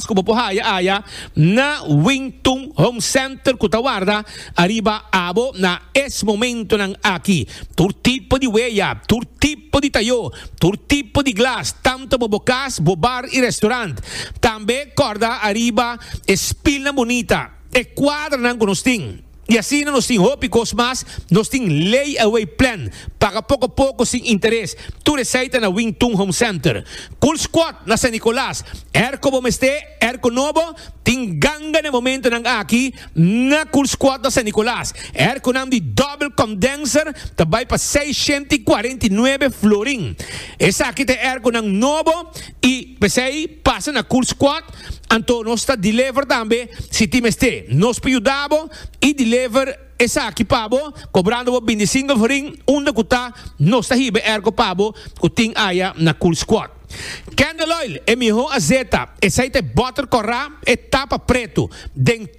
Mas ku bo por haya aya na Wington Home Center ku ta warda ariba abo na es momentonan aki. Tur tipo di weya, tur tipo di tayó, tur tipo di glas, tantu pa bo kas, bo bar i restaurant. Tambe kòrda ariba e spilnan bunita, e kuadranan ku nos tin. I asina nos tin hopi kos mas. Nos tin lay away plan, paga poko poko sin interes. Tur esei ta na Wing Tun Home Center. Cool Squad na San Nicolas. Erko bo mester erko nobo? Tin ganga na e momentonan aki na Cool Squad na San Nicolas. Erkonan di double condenser ta bai pa seishenta i kuarenta i nuebe florin. Esaki ta e erkonan nobo. I p'esei pasa na kurs kwat, anto nos ta deliver tambe si tin mester. Nos por yuda bo i deliver esaki pa bo kobrando bo binti single forin unda ku ta, nos ta hiba ergo pa bo ku tin aya na kurs kwat. Candle oil, e mihó azeta, esei ta e bòter kòrá, e tapa pretu, den.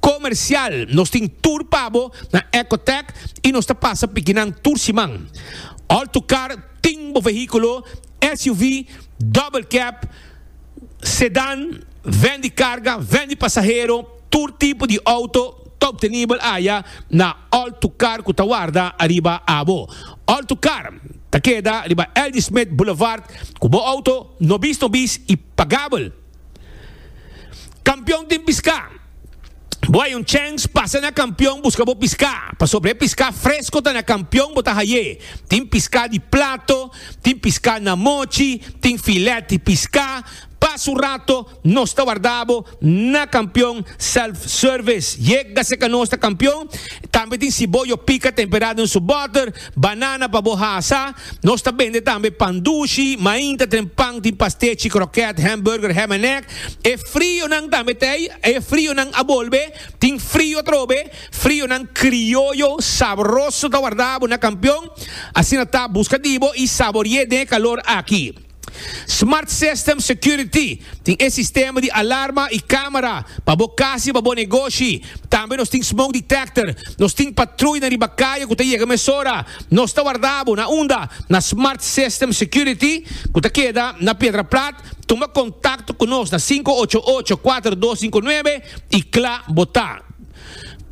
Comercial, Nos tin tur pa bo na Ecotech y nos ta pasa pikinan tur siman. All to car tin bo vehiculo, SUV, double cab, sedan, ven di carga, ven di pasahero, tur tipo di auto ta obtenibel aya na All to car cu ta warda ariba abo. All to car ta keda riba L. D. Smith Boulevard cu bo auto nobis nobis y pagabel. Kampion tin piská. Bo hay un chèns pasa na kampion buska bo piská, pasobra e piská fresko ta na kampion bo ta hay'é. Tin piská di plato, tin piská na mochi, tin filèt di piská. Pa su rato nos ta wardá bo na kampion self-service. Yega seka nos ta kampion. Tambe tin siboyo pika temperá den su bòter. Banana pa bo hasa. Nos ta bende tambe pan dushi, mainta, tren pan, tin pastechi, kroket, hamburger, ham en egg. E frionan tambe ta ei. E frionan a bolbe. Tin frio atrobe. Frionan krioyo sabroso ta warda bo na Kampion. Asina ta, buska di bo i sabori'é den e kalor aki. Smart System Security tin e sistema di alarma y camera pa bo cas y pa bo negoshi. Tambe nos tin smoke detector. Nos tin patruy na riba caye cu ta yega mesora. Nos ta warda bo na unda? Na Smart System Security cu ta keda na Piedra Plat. Tuma contacto cu nos na cinco ocho ocho cuatro dos cinco nuebe y cla bo ta.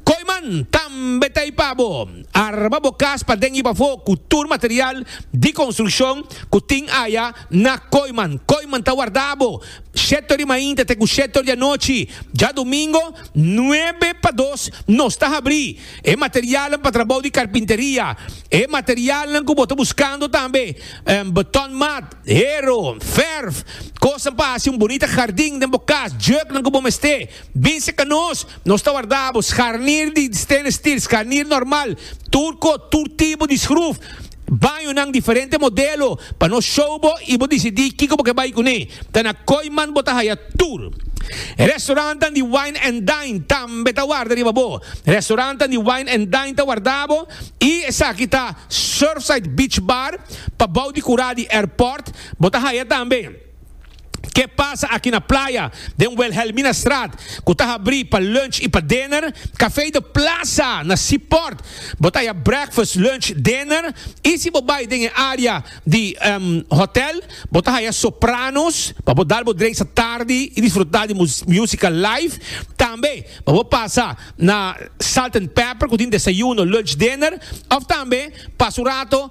Koiman tambe ta ipa bo. Arma bo kas pa den i pafó ku tur material di konstrukshon ku tin aya na Koiman. Koiman ta wardá bo shetor di mainta te ku shetor di anochi. Dja dumingo nuebe pa dos nos ta habrí e materialnan pa trabou di karpinteria. E materialnan ku bo ta buskando tambe botòn mat. Hero, verf, kosnan pa hasi un bunita hardin den bo kas, juknan ku bo mester. Bin seka nos, nos ta warda bo scharnier di stainless steel, scharnier normal, turco, tur tipo di schruf, bañonan diferente modelo pa nos show bo i bo disidi kiko bo ke bai kuné. Ta na Kooiman bo ta haya tur. Restaurantan di wine and dine tambe ta warda riba bo. Restaurantan di wine and dine ta warda bo i esaki ta Surfside Beach Bar, pa bou di kurá di airport bo ta haya tambe Ke pasa aki na playa den Wilhelminastraat ku ta habrí pa lunch i pa dinner Café de Plaza na Seaport bo ta haya breakfast lunch dinner i si bo bai den e área di hotel bo ta haya Sopranos pa bo dal bo dreisa tardi i disfrutá di músika live tambe pa bo pasa na Salt and Pepper ku tin desayuno lunch dinner òf tambe pasa un rato.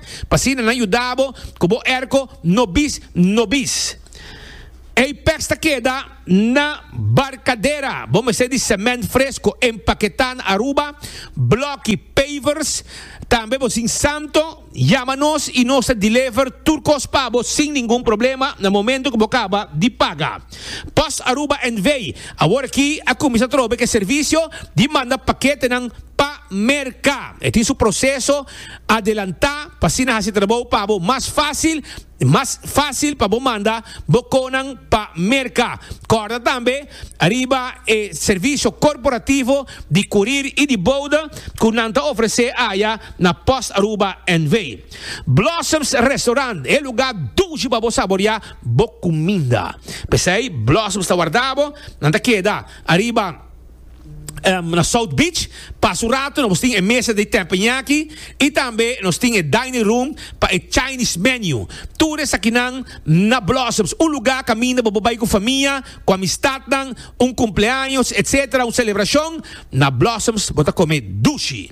pa asina nan yuda bo ku bo erko no bis no bis. Ei pes ta keda na barkadera, bo mester di semènt fresko, empaketá na Aruba, blòki, pavers, tambe bo sin santo yama nos i nos ta dilever tur kos pa bo sin ningun problema na momentu ku bo kaba di paga. Post Aruba NV. Awor aki a kuminsá trobe ku e servisio di manda paketenan pa merka. E tin su proseso. adelantá pa asina hasi e trabou pa bo mas fásil i mas fásil pa bo manda bo konan pa merka. Kòrda tambe riba e servisio korporativo di kurir i di bouda ku nan ta ofresé aya na Post Aruba NV. Blossoms Restaurant, e lugá dushi pa bo saboriá bo kuminda. P'esei Blossoms ta warda bo, nan ta keda ariba. um, na South Beach. Pas un rato nos tin e mesa de teppanyaki y tambe nos tin e dining room pa e Chinese menu. Tur esakinan na Blossoms, un lugar caminda bo por bay cu famia, cu amistadnan, un cumpleaños, etc. Un celebracion, na Blossoms bo ta come dushi.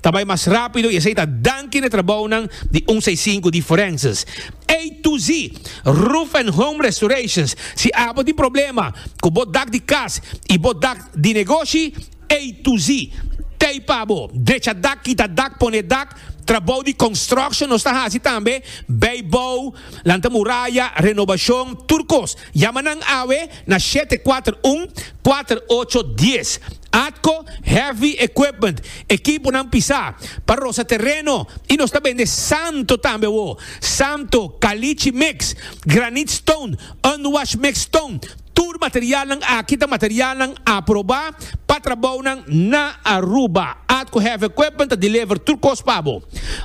Ta bai mas rápido i esei ta danki na e trabounan di un seisinku di forenses. A to Z, Roof and Home Restorations, Si abo tin problema ku bo dak di kas i bo dak di negoshi, A to Z, Tei pa bo, drecha dak, kita dak, pone dak, trabou di construction nos ta hasi tambe, bai bou, lanta muraya, renobashon, tur kos. Yama nan awe na shete kuater un, kuater ocho, dies. Atco heavy equipment, ekiponan pisá, pa rosa tereno y nos ta bende santo tambe awo, santo, calichi mix, granite stone, unwashed mixed stone, tur materialnan aki ta materialnan aprobá pa trabounan na Aruba. Atco Heavy Equipment ta deliver tur cos pa bo.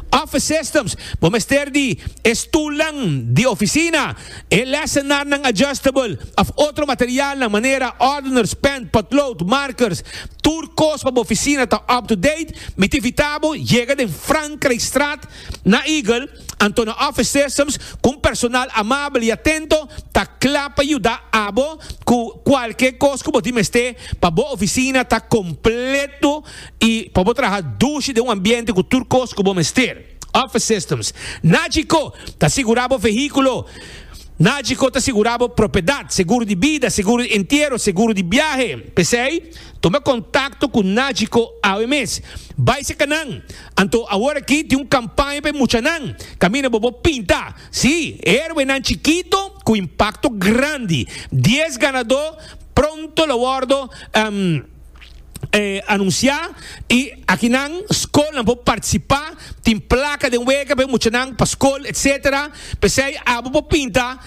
Office Systems, bo mester di e stulnan di oficina, E lesenarnan adjustable of otro materialnan manera ordeners, pen, potlood, markers, tur kos pa bo oficina ta up to date, mi ta invita bo yega den Frankrijkstraat na Eagle, anto na office systems cu un personal amabel y atento ta cla pa yuda abo cu cualke kos cu bo tin mester pa bo oficina ta completo y pa bo traha dushi den un ambiente cu tur kos cu bo mester. Office Systems. Nagico ta sigurá bo vehíkulo. Nagico ta sigurá bo propiedat, seguro di bida, seguro di entiero, seguro di biahe. P'esei, tuma kontakto ku Nagico awe mes. Bai seka nan! Anto awor aki tin un kampaña pa e muchanan. Kaminda bo bo pinta! Sí, herwenan chikito ku impakto grandi. Dies ganadó pronto lo wòrdu. anuncia y aki nan school nan por participa tin placa den wega pe muchanan pa school etcetera pesey abo por pinta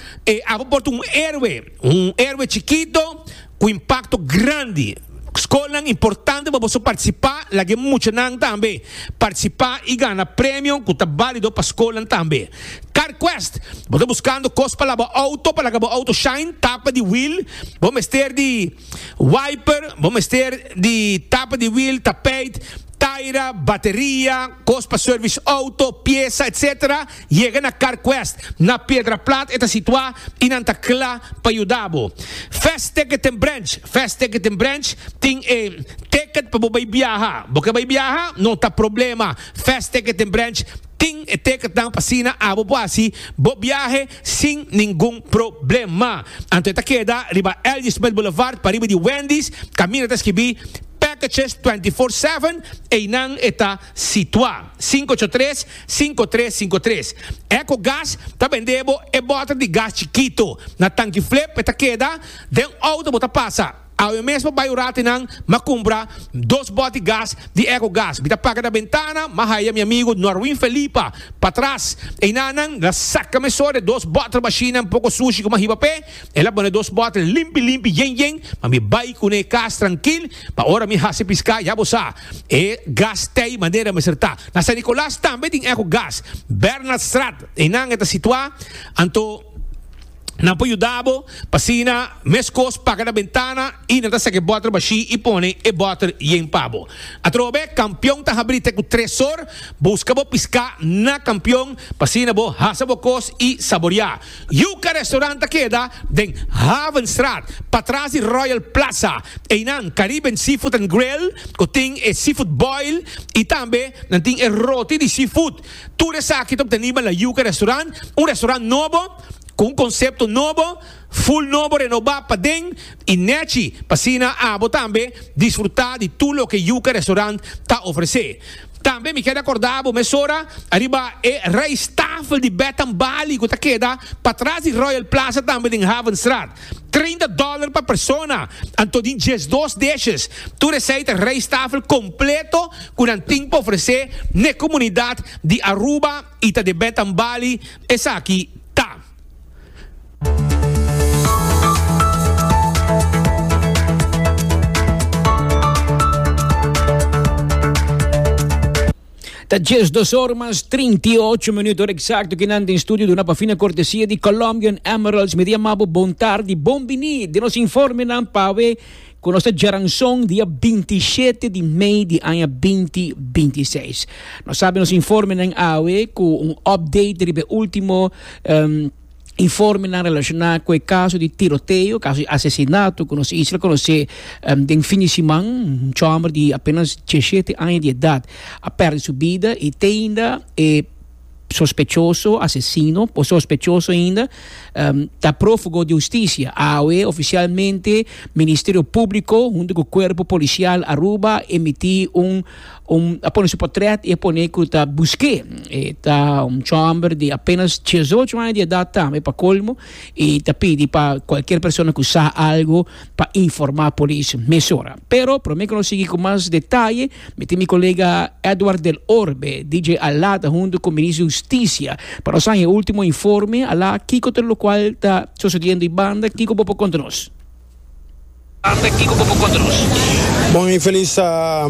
abo por un heroe un heroe chikito cu impacto grandi school nan importante pa boso participa laguey muchanan tambe participa y gana premio cu ta balido pa school nan tambe car quest bo ta buscando cos pa laba auto pa laga bo auto shine tapa di wheel bo mester di. Wiper, bo mester di tapa di wiel, tapijt, taira, bateria, kos pa service auto, piesa, etc. Yega na CarQuest, na Piedraplat e ta situa y nan ta cla pa yuda bo. Fast Ticket and Branch, Fast Ticket and Branch tin e ticket pa bo bay biaha. Bo ke bay biaha? No ta problema, Fast Ticket and Branch tin e ticketnan pa asina abo por haci bo biahe. sin ningun problema. Anto e ta keda riba L.J. Smith Boulevard pariba di Wendy's, kaminda ta skibí Packages Twenty Four Seven, einan e ta situá. Sinku ocho tres, sinku tres sinku tres. Echo Gas ta bende bo e bòter di gas chikito. Na tanki flip e ta keda den outo bo ta pasa. Awe mesmo bai un rati nan m'a cumpra dos boti gas di Eco Gas. Mi ta paga na bentana, m'a haya mi amigo Norwin Felipa patras. Eina nan la saca mesó de dos bottle machine un poco sushi cu m'a hiba p'e. El a pone dos bottle limpi limpi yen yen, ma mi bai cun'e cas trankil, pa ora mi haci pisca ya bo sa e gas t'ey manera mester ta. Na San Nicolas tambe tin Eco Gas, Bernhardstraat, einan e ta situa, anto. Nan por yuda bo pa sina meskos paga na bentana i nan ta saki e bòter bashí i pone e bòter yen pa bo. Atrobe, kampion ta habrí te ku tres sor. Buska bo piská na kampion pa asina bo hasa bo kos i saboriá. Yuka Restaurant ta keda den Havenstraat, patras di Royal Plaza. Einan Caribbean Seafood and Grill, ku tin e seafood boil i tambe nan tin e roti di seafood. Tur esaki ta ku ta niba na Yuca Restaurant, un restaurant nobo, ku un konsepto nobo, ful nobo, renobá paden i nèchi, pa asina abo tambe disfrutá di tur loke Yuca Restaurant ta ofresé. Tambe mi ker rekordá abo mesora ariba e rijsttafel di Bed and Bali ku ta keda patras di Royal Plaza tambe den Havenstraat. Treinta dòler pa persona, anto di diesdos dishes. Tur esei ta rijsttafel completo cu nan tin pa ofrece n'e comunidad di Aruba y ta debè ta n'Bali, esaki ta. Ta diezdos or mas trinti ocho minuut or eksakto ki nan den studio duna pa fina kortesia di Colombian Emeralds. Mi ta yama bo bon tardi, bon biní den nos informenan pa awe ku nos ta jaranson dia binti shete di mei di aña binti binti seis. Nos abi nos informenan awe ku un update riba e último. Informenan relacioná cu e caso di tiroteo, caso di asesinato cu nos isla conoce den fin di siman. Un chomber di apenas diecisiete aña di edad a perde su bida y te ainda e sospechoso, asesino o sospechoso ainda, ta profugo di husticia. Awe oficialmente Ministerio Publico hunto cu Cuerpo Policial Aruba a emiti un Un a pone su portret y a pone cu ta busque. E ta un chamber de apenas 18 años de edad tambe pa colmo y ta pidi pa cualquier persona cu sa algo pa informa polis mesora. Pero prome cu nos sigui cu mas detalle mi tin mi colega Edward del Orbe, DJ Alá ta hunto cu Minister di Husticia pa nos haña e ultimo informe. Alá, kico ta locual ta sosodiendo y banda kico bo por conta nos? Ande kiko bo por kontribusí? Bon y feliz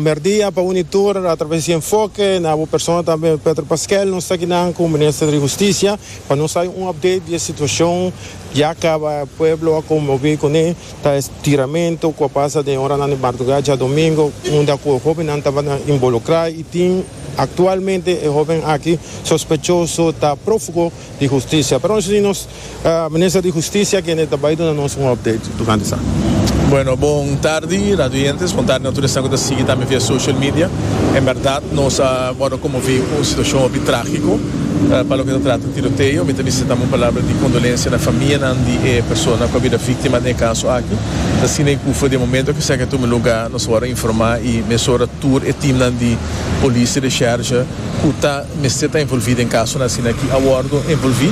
merdia pa uni tur a traves di Enfoke, na bo persona tambe Petro Pasquel. Nos ta akinan cu Minister di Husticia pa nos hay un update di e situacion ya caba. E pueblo a conmovi con e tiramento cu a pasa den e horanan di marduga djadomingo, unda cu e hobennan tabata involucra y tin actualmente e hoben aki sospechoso ta profugo. di Husticia. Pero nos a di nos Minister di Husticia kende ta bai duna nos un update tocante sa. Bueno, bon tardi radio oyentes, bon tardi na tur esnan cu ta sigui tambe via social media. En berdad nos a wordo conmovi cu un situacion hopi tragico pa loke ta trata tiroteo. Mi ta bisti dam un palabra di condolencia na famianan di e persona cu a bida victima den e caso aki. Ta scina y cufe den momento cu esaki a tuma lugar nos a wordo informa y mesora tur e teamnan di Police y Recherche, ku ta mester ta envolví den kasonan asina aki a wòrdu envolví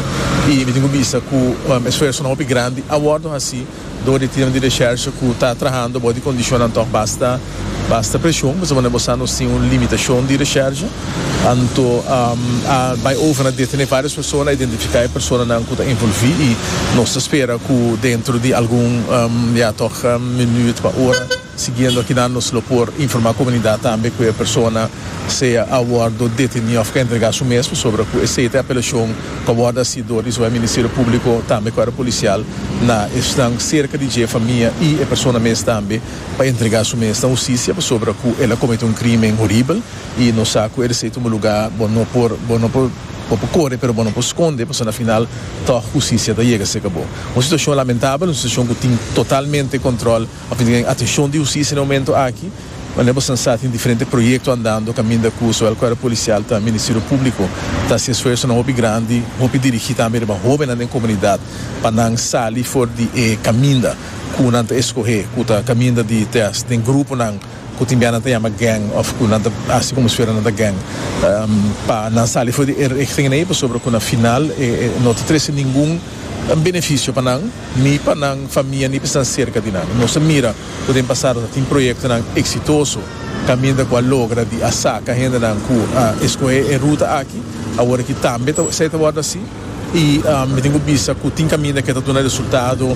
i mi tin ku bisa ku esfuersonan hopi grandi a wòrdu hasí dor di e tiemnan di reshèrsha ku ta trahando bou di kondishonnan tòg basta basta preshon pasobra nan bo sa nos tin un limitashon di reshèrsha anto a bai over na detené vários persona a identifiká e personanan ku ta envolví i nos ta spera ku dentro di algun ya tòg minüt pa ora. Siguiendo akinan nos lo por informa comunidad tambe cu e persona sea a wordo deteni of ka entrega su mes pasobra cu esey ta e apelacion cu a wordo haci door di zowel Ministerio Publico tambe cuerpo policial na esnan cerca di dje famia y e persona mes tambe pa entrega su mes na husticia pasobra cu el a comete un crimen horibel y nos sa cu e esey tuma lugar bo no por bo no por bo por core pero bo no por sconde pasobra na final toch husticia ta yega seca bo un situacion lamentabel un situacion cu tin totalmente control Papi tin e atenshon di husisia na e momento aki, manera boso nan sa tin diferente proyekto andando kaminda ku zowel kuerpo polisial ta ministerio públiko ta hasi esfuersonan hopi grandi, hopi dirigí tambe riba hóbennan den komunidat pa nan sali for di e kaminda ku nan ta eskohé ku ta kaminda di teas den gruponan ku tin bia nan ta yama gèng òf ku nan ta hasi komo si fuera nan ta gèng pa nan sali for di e richting ei pasobra ku na final no ta trese ningun benefisio pa nan. Ni pa nan famia ni pa esnan serka di nan. Nos a mira ku den pasado ta tin proyektonan eksitoso kaminda ku a logra di a saka hendenan ku a eskohe e ruta aki. Awor aki tambe ta esei ta wòrdu asi i mi tin ku bisa ku tin kaminda ke ta duna resultado.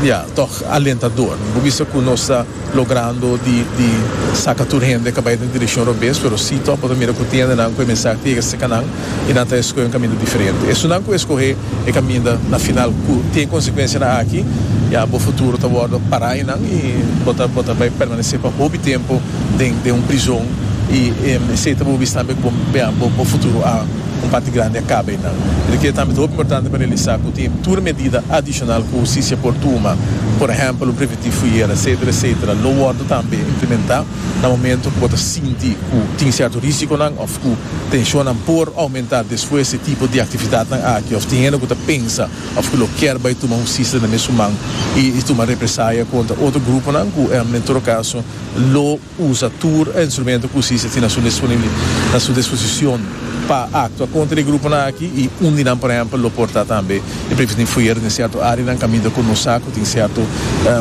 Ya, tòg alentador. Mi por bisa ku nos ta. logrando di di saka tur hende ka bai den direkshon robes pero si tok bo ta mira ku tin hendenan ku e mensah ta yega serka nan i nan ta eskohe un kaminda diferente. Esunnan ku eskohe e kaminda na final ku tin konsekuensianan aki ya bo futuro ta wòrdu pará einan i bo ta bo ta bai permanesé pa hopi tempu den den un prizon i esei ta bo bis tambe ku bo ya bo bo futuro a un parti grandi a kaba einan. Di ke tambe ta hopi importante pa realisá ku tin tur medida adishonal ku hustisia por tuma, por ehèmpel un. di fuyer, etcetera, etcetera, lo wòrdu tambe implementá na momentu ku bo ta sinti ku tin sierto risikonan òf ku tenshonnan por oumentá despues di e tipo di aktividatnan aki òf tin hende ku ta pensa òf ku lo kèr bai tuma hustisia na mes human i tuma represaya kontra otro gruponan ku, en tur kaso, lo. Usa tur e instrumento cu justicia tin na su disposicion pa actua contra e gruponan aki y un di nan por ehempel lo por ta tambe e preventiv foyer den cierto areanan caminda cu nos sa cu tin cierto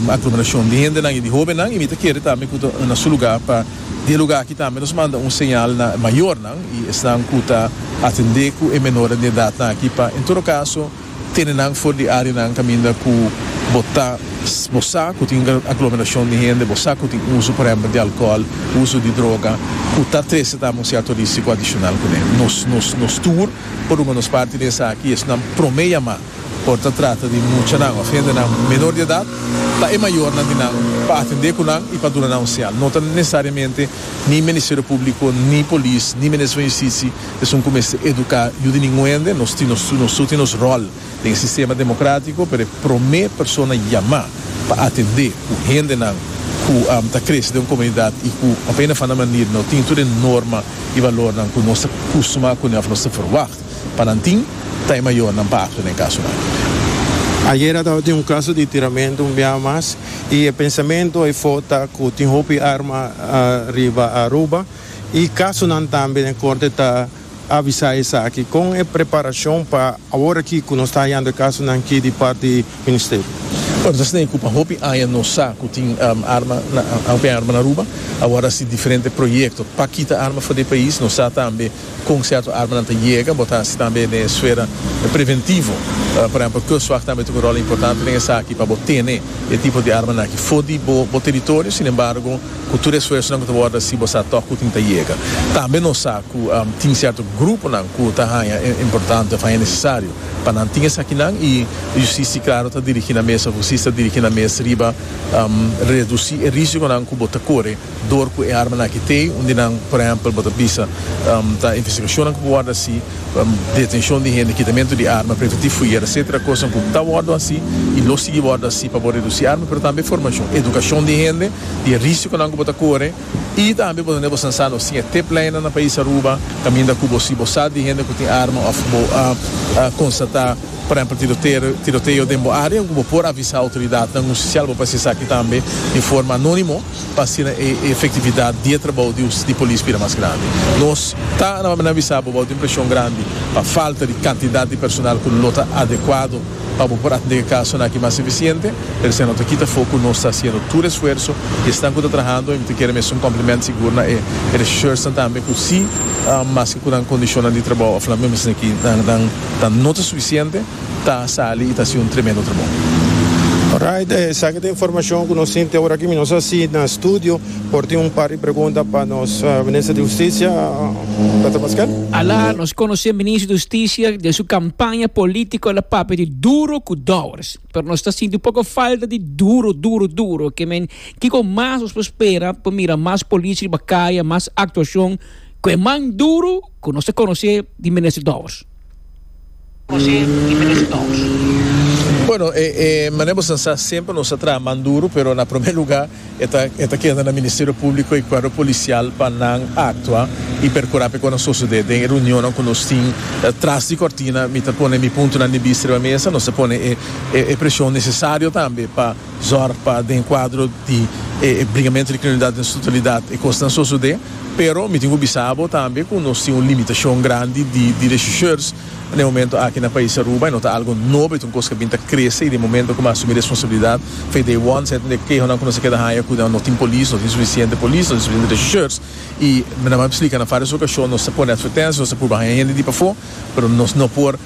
aglomeracion di hendenan y di hobennan y mi ta kere tambe cu ta na su lugar pa di e lugar aki tambe nos manda un señal na mayornan y esnan cu ta atende cu e menornan di edadnan aki pa en todo caso Tene nan for di áreanan kaminda ku bo ta, bo sa ku tin un aglomerashon di hende, bo sa ku tin uso, por ehèmpel, di alkohòl, uso di droga, ku ta trese ta un sièto rísiko adishonal kuné. Nos, nos, nos tur por ruma nos parti den esaki. Esnan promé yamá por ta trata di muchanan òf hendenan menor di edat, pa e mayornan di nan pa atendé ku nan i pa duna nan un señal. No ta nesesariamente ni Ministerio Públiko, ni polis, ni Minister van Justisi, Esun ku mester eduká yu di ningun hende. Nos tin nos su, nos su tin nos ròl den e sistema demokratiko, pero e promé persona yamá pa atendé ku hendenan ku ta krese den un komunidat i ku op ene of ander manera no tin tur e norma i valornan ku nos ta kustumá kuné òf nos ta ferwagt pa nan tin, ta e mayornan pa aktua na e kasunan. Ayera tabatin un kaso di tiramentu un biaha mas i e pensamentu ey for ta ku tin hopi arma riba Aruba. i kasunan tambe den korte ta avisá esaki. Kon e preparashon pa awor aki ku nos ta hayando e kasunan ki di part di Ministerio? Bueno, ta snei ku pa hopi aña nos sa ku tin arma na hopi arma na Aruba. Awor a hasi diferente proyekto pa kita arma for di e pais. Nos sa tambe. Kon sierto armanan ta yega bo ta hasi tambe den e sfera preventivo? Por ehempel, Kustwag tambe tin un rol importante den esaki pa bo tene e tipo di armanan aki for di bo bo teritorio. Sin embargo, ku tur e esfuersonan ku ta wòrdu hasi bo sa tòg ku tin ta yega. Tambe nos sa ku tin sierto gruponan ku ta haña e importante òf haña nesesario pa nan tin esakinan i Justicia klaro ta dirigí nan mes òf Justicia ta dirigí nan mes riba redusi e risikonan ku bo ta kore Dor cu e armanan aki t'e un di nan, por ehempel, bo ta bisa, ta investigacionnan cu por wordo haci, detencion di hende, kitamento di arma, prende ti fuyer, etcetera, cosnan cu ta wordo haci y lo sigui wordo haci pa bo reduci arma, pero tambe formacion, educacion di hende di e risiconan cu bo ta core y tambe bo ta na e bosansa nos tin e tip lijnnan na pais Aruba caminda cu bo si bo sa di hende cu tin arma of bo a constata, por ehempel, tiroteo, tiroteo den bo area cu bo por avisa autoridadnan un si si albo pasa esaki tambe en forma anonimo. pa asina e efektividat di e trabou di us di polis bira mas grandi. Nos ta na manda avisa bo bou tin preshon grandi pa falta di kantidat di personal ku lo ta adekuado pa bo por atendé e kasonan aki mas efisiente, pero esei no ta kita fo ku nos ta hasiendo tur esfuerso i esnan ku ta trahando i mi ta kere mester un kòmpliment sigur na e regisheursnan tambe ku si maske ku nan kondishonnan di trabou a fla mester esaki nan ta no ta sufisiente. ta sali y ta haci un tremendo trabou. Alright, esaki ta informacion cu nos tin te ora aki. Mi no sa si na studio por tin un par di pregunta pa nos Minister di Husticia, Peter Pasquel? Ala, nos conoce Minister di Husticia den su campaña politico el a papia di duro cu Dowers. Pero nos ta sinti un poco falta di duro, duro, duro. Ke men, kico mas nos por spera pa mira mas policia riba caya, mas actuacion cu e man duro cu nos ta conoce di Minister Dowers? José y Melissa Toms. Bueno, e manera bo sa sa, semper nos a traha man duro, pero na prome luga e ta e ta keda na Ministerio Publico y Cuerpo Policial pa nan actua y percura p'e cu a na sosode den e reunionnan cu nos tin tras di cortina. Mi ta pone mi puntonan di bista riba mesa, nos ta pone e e presion necesario tambe pa. Zorg pa den e kuadro di e bringamentu di kriminalidat den su totalidat e kosnan sosodé, pero mi tin ku bisa bo tambe ku nos tin un limitashon grandi di di reshishers na e momentu aki na pais Aruba i no ta algu nobo, e ta un kos ku a bin ta krese i den momentu ku mi a asumí responsabilidat fei di e won sèt hende kehonan ku nos a keda haña ku nan no tin polis, no tin sufisiente polis, no tin sufisiente reshishers i nan mi a eksplika nan, fas des okashon nos ta pone atvertensia, nos ta purba haña hende di pafó, pero nos no por.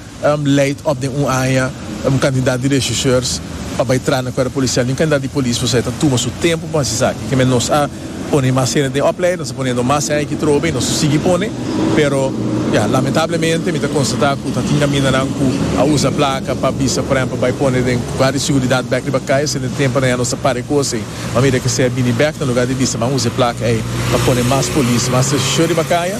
Leid op den un aña un kantidat di rechercheurs pa bai tras na kuerpo polisial. Yu kantidat di polis pasobra e ta tuma su tempu pa hasi esaki. Kimen nos a pone mas hende den opleiding, nos a pone endo mas aña ki trobe i nos a sigui pone, pero ya, lamentablemente mi ta konstatá ku ta tin kamindanan ku a usa plaka pa bisa, por ehèmpel, bai pone den guarda di siguridat bèk riba kai, esei den tempu areña nos ta para e kos ei. Mira, kese a bini bèk na lugá di bisa ban usa e plaka ei pa pone mas polis, mas rechercheur riba kaya.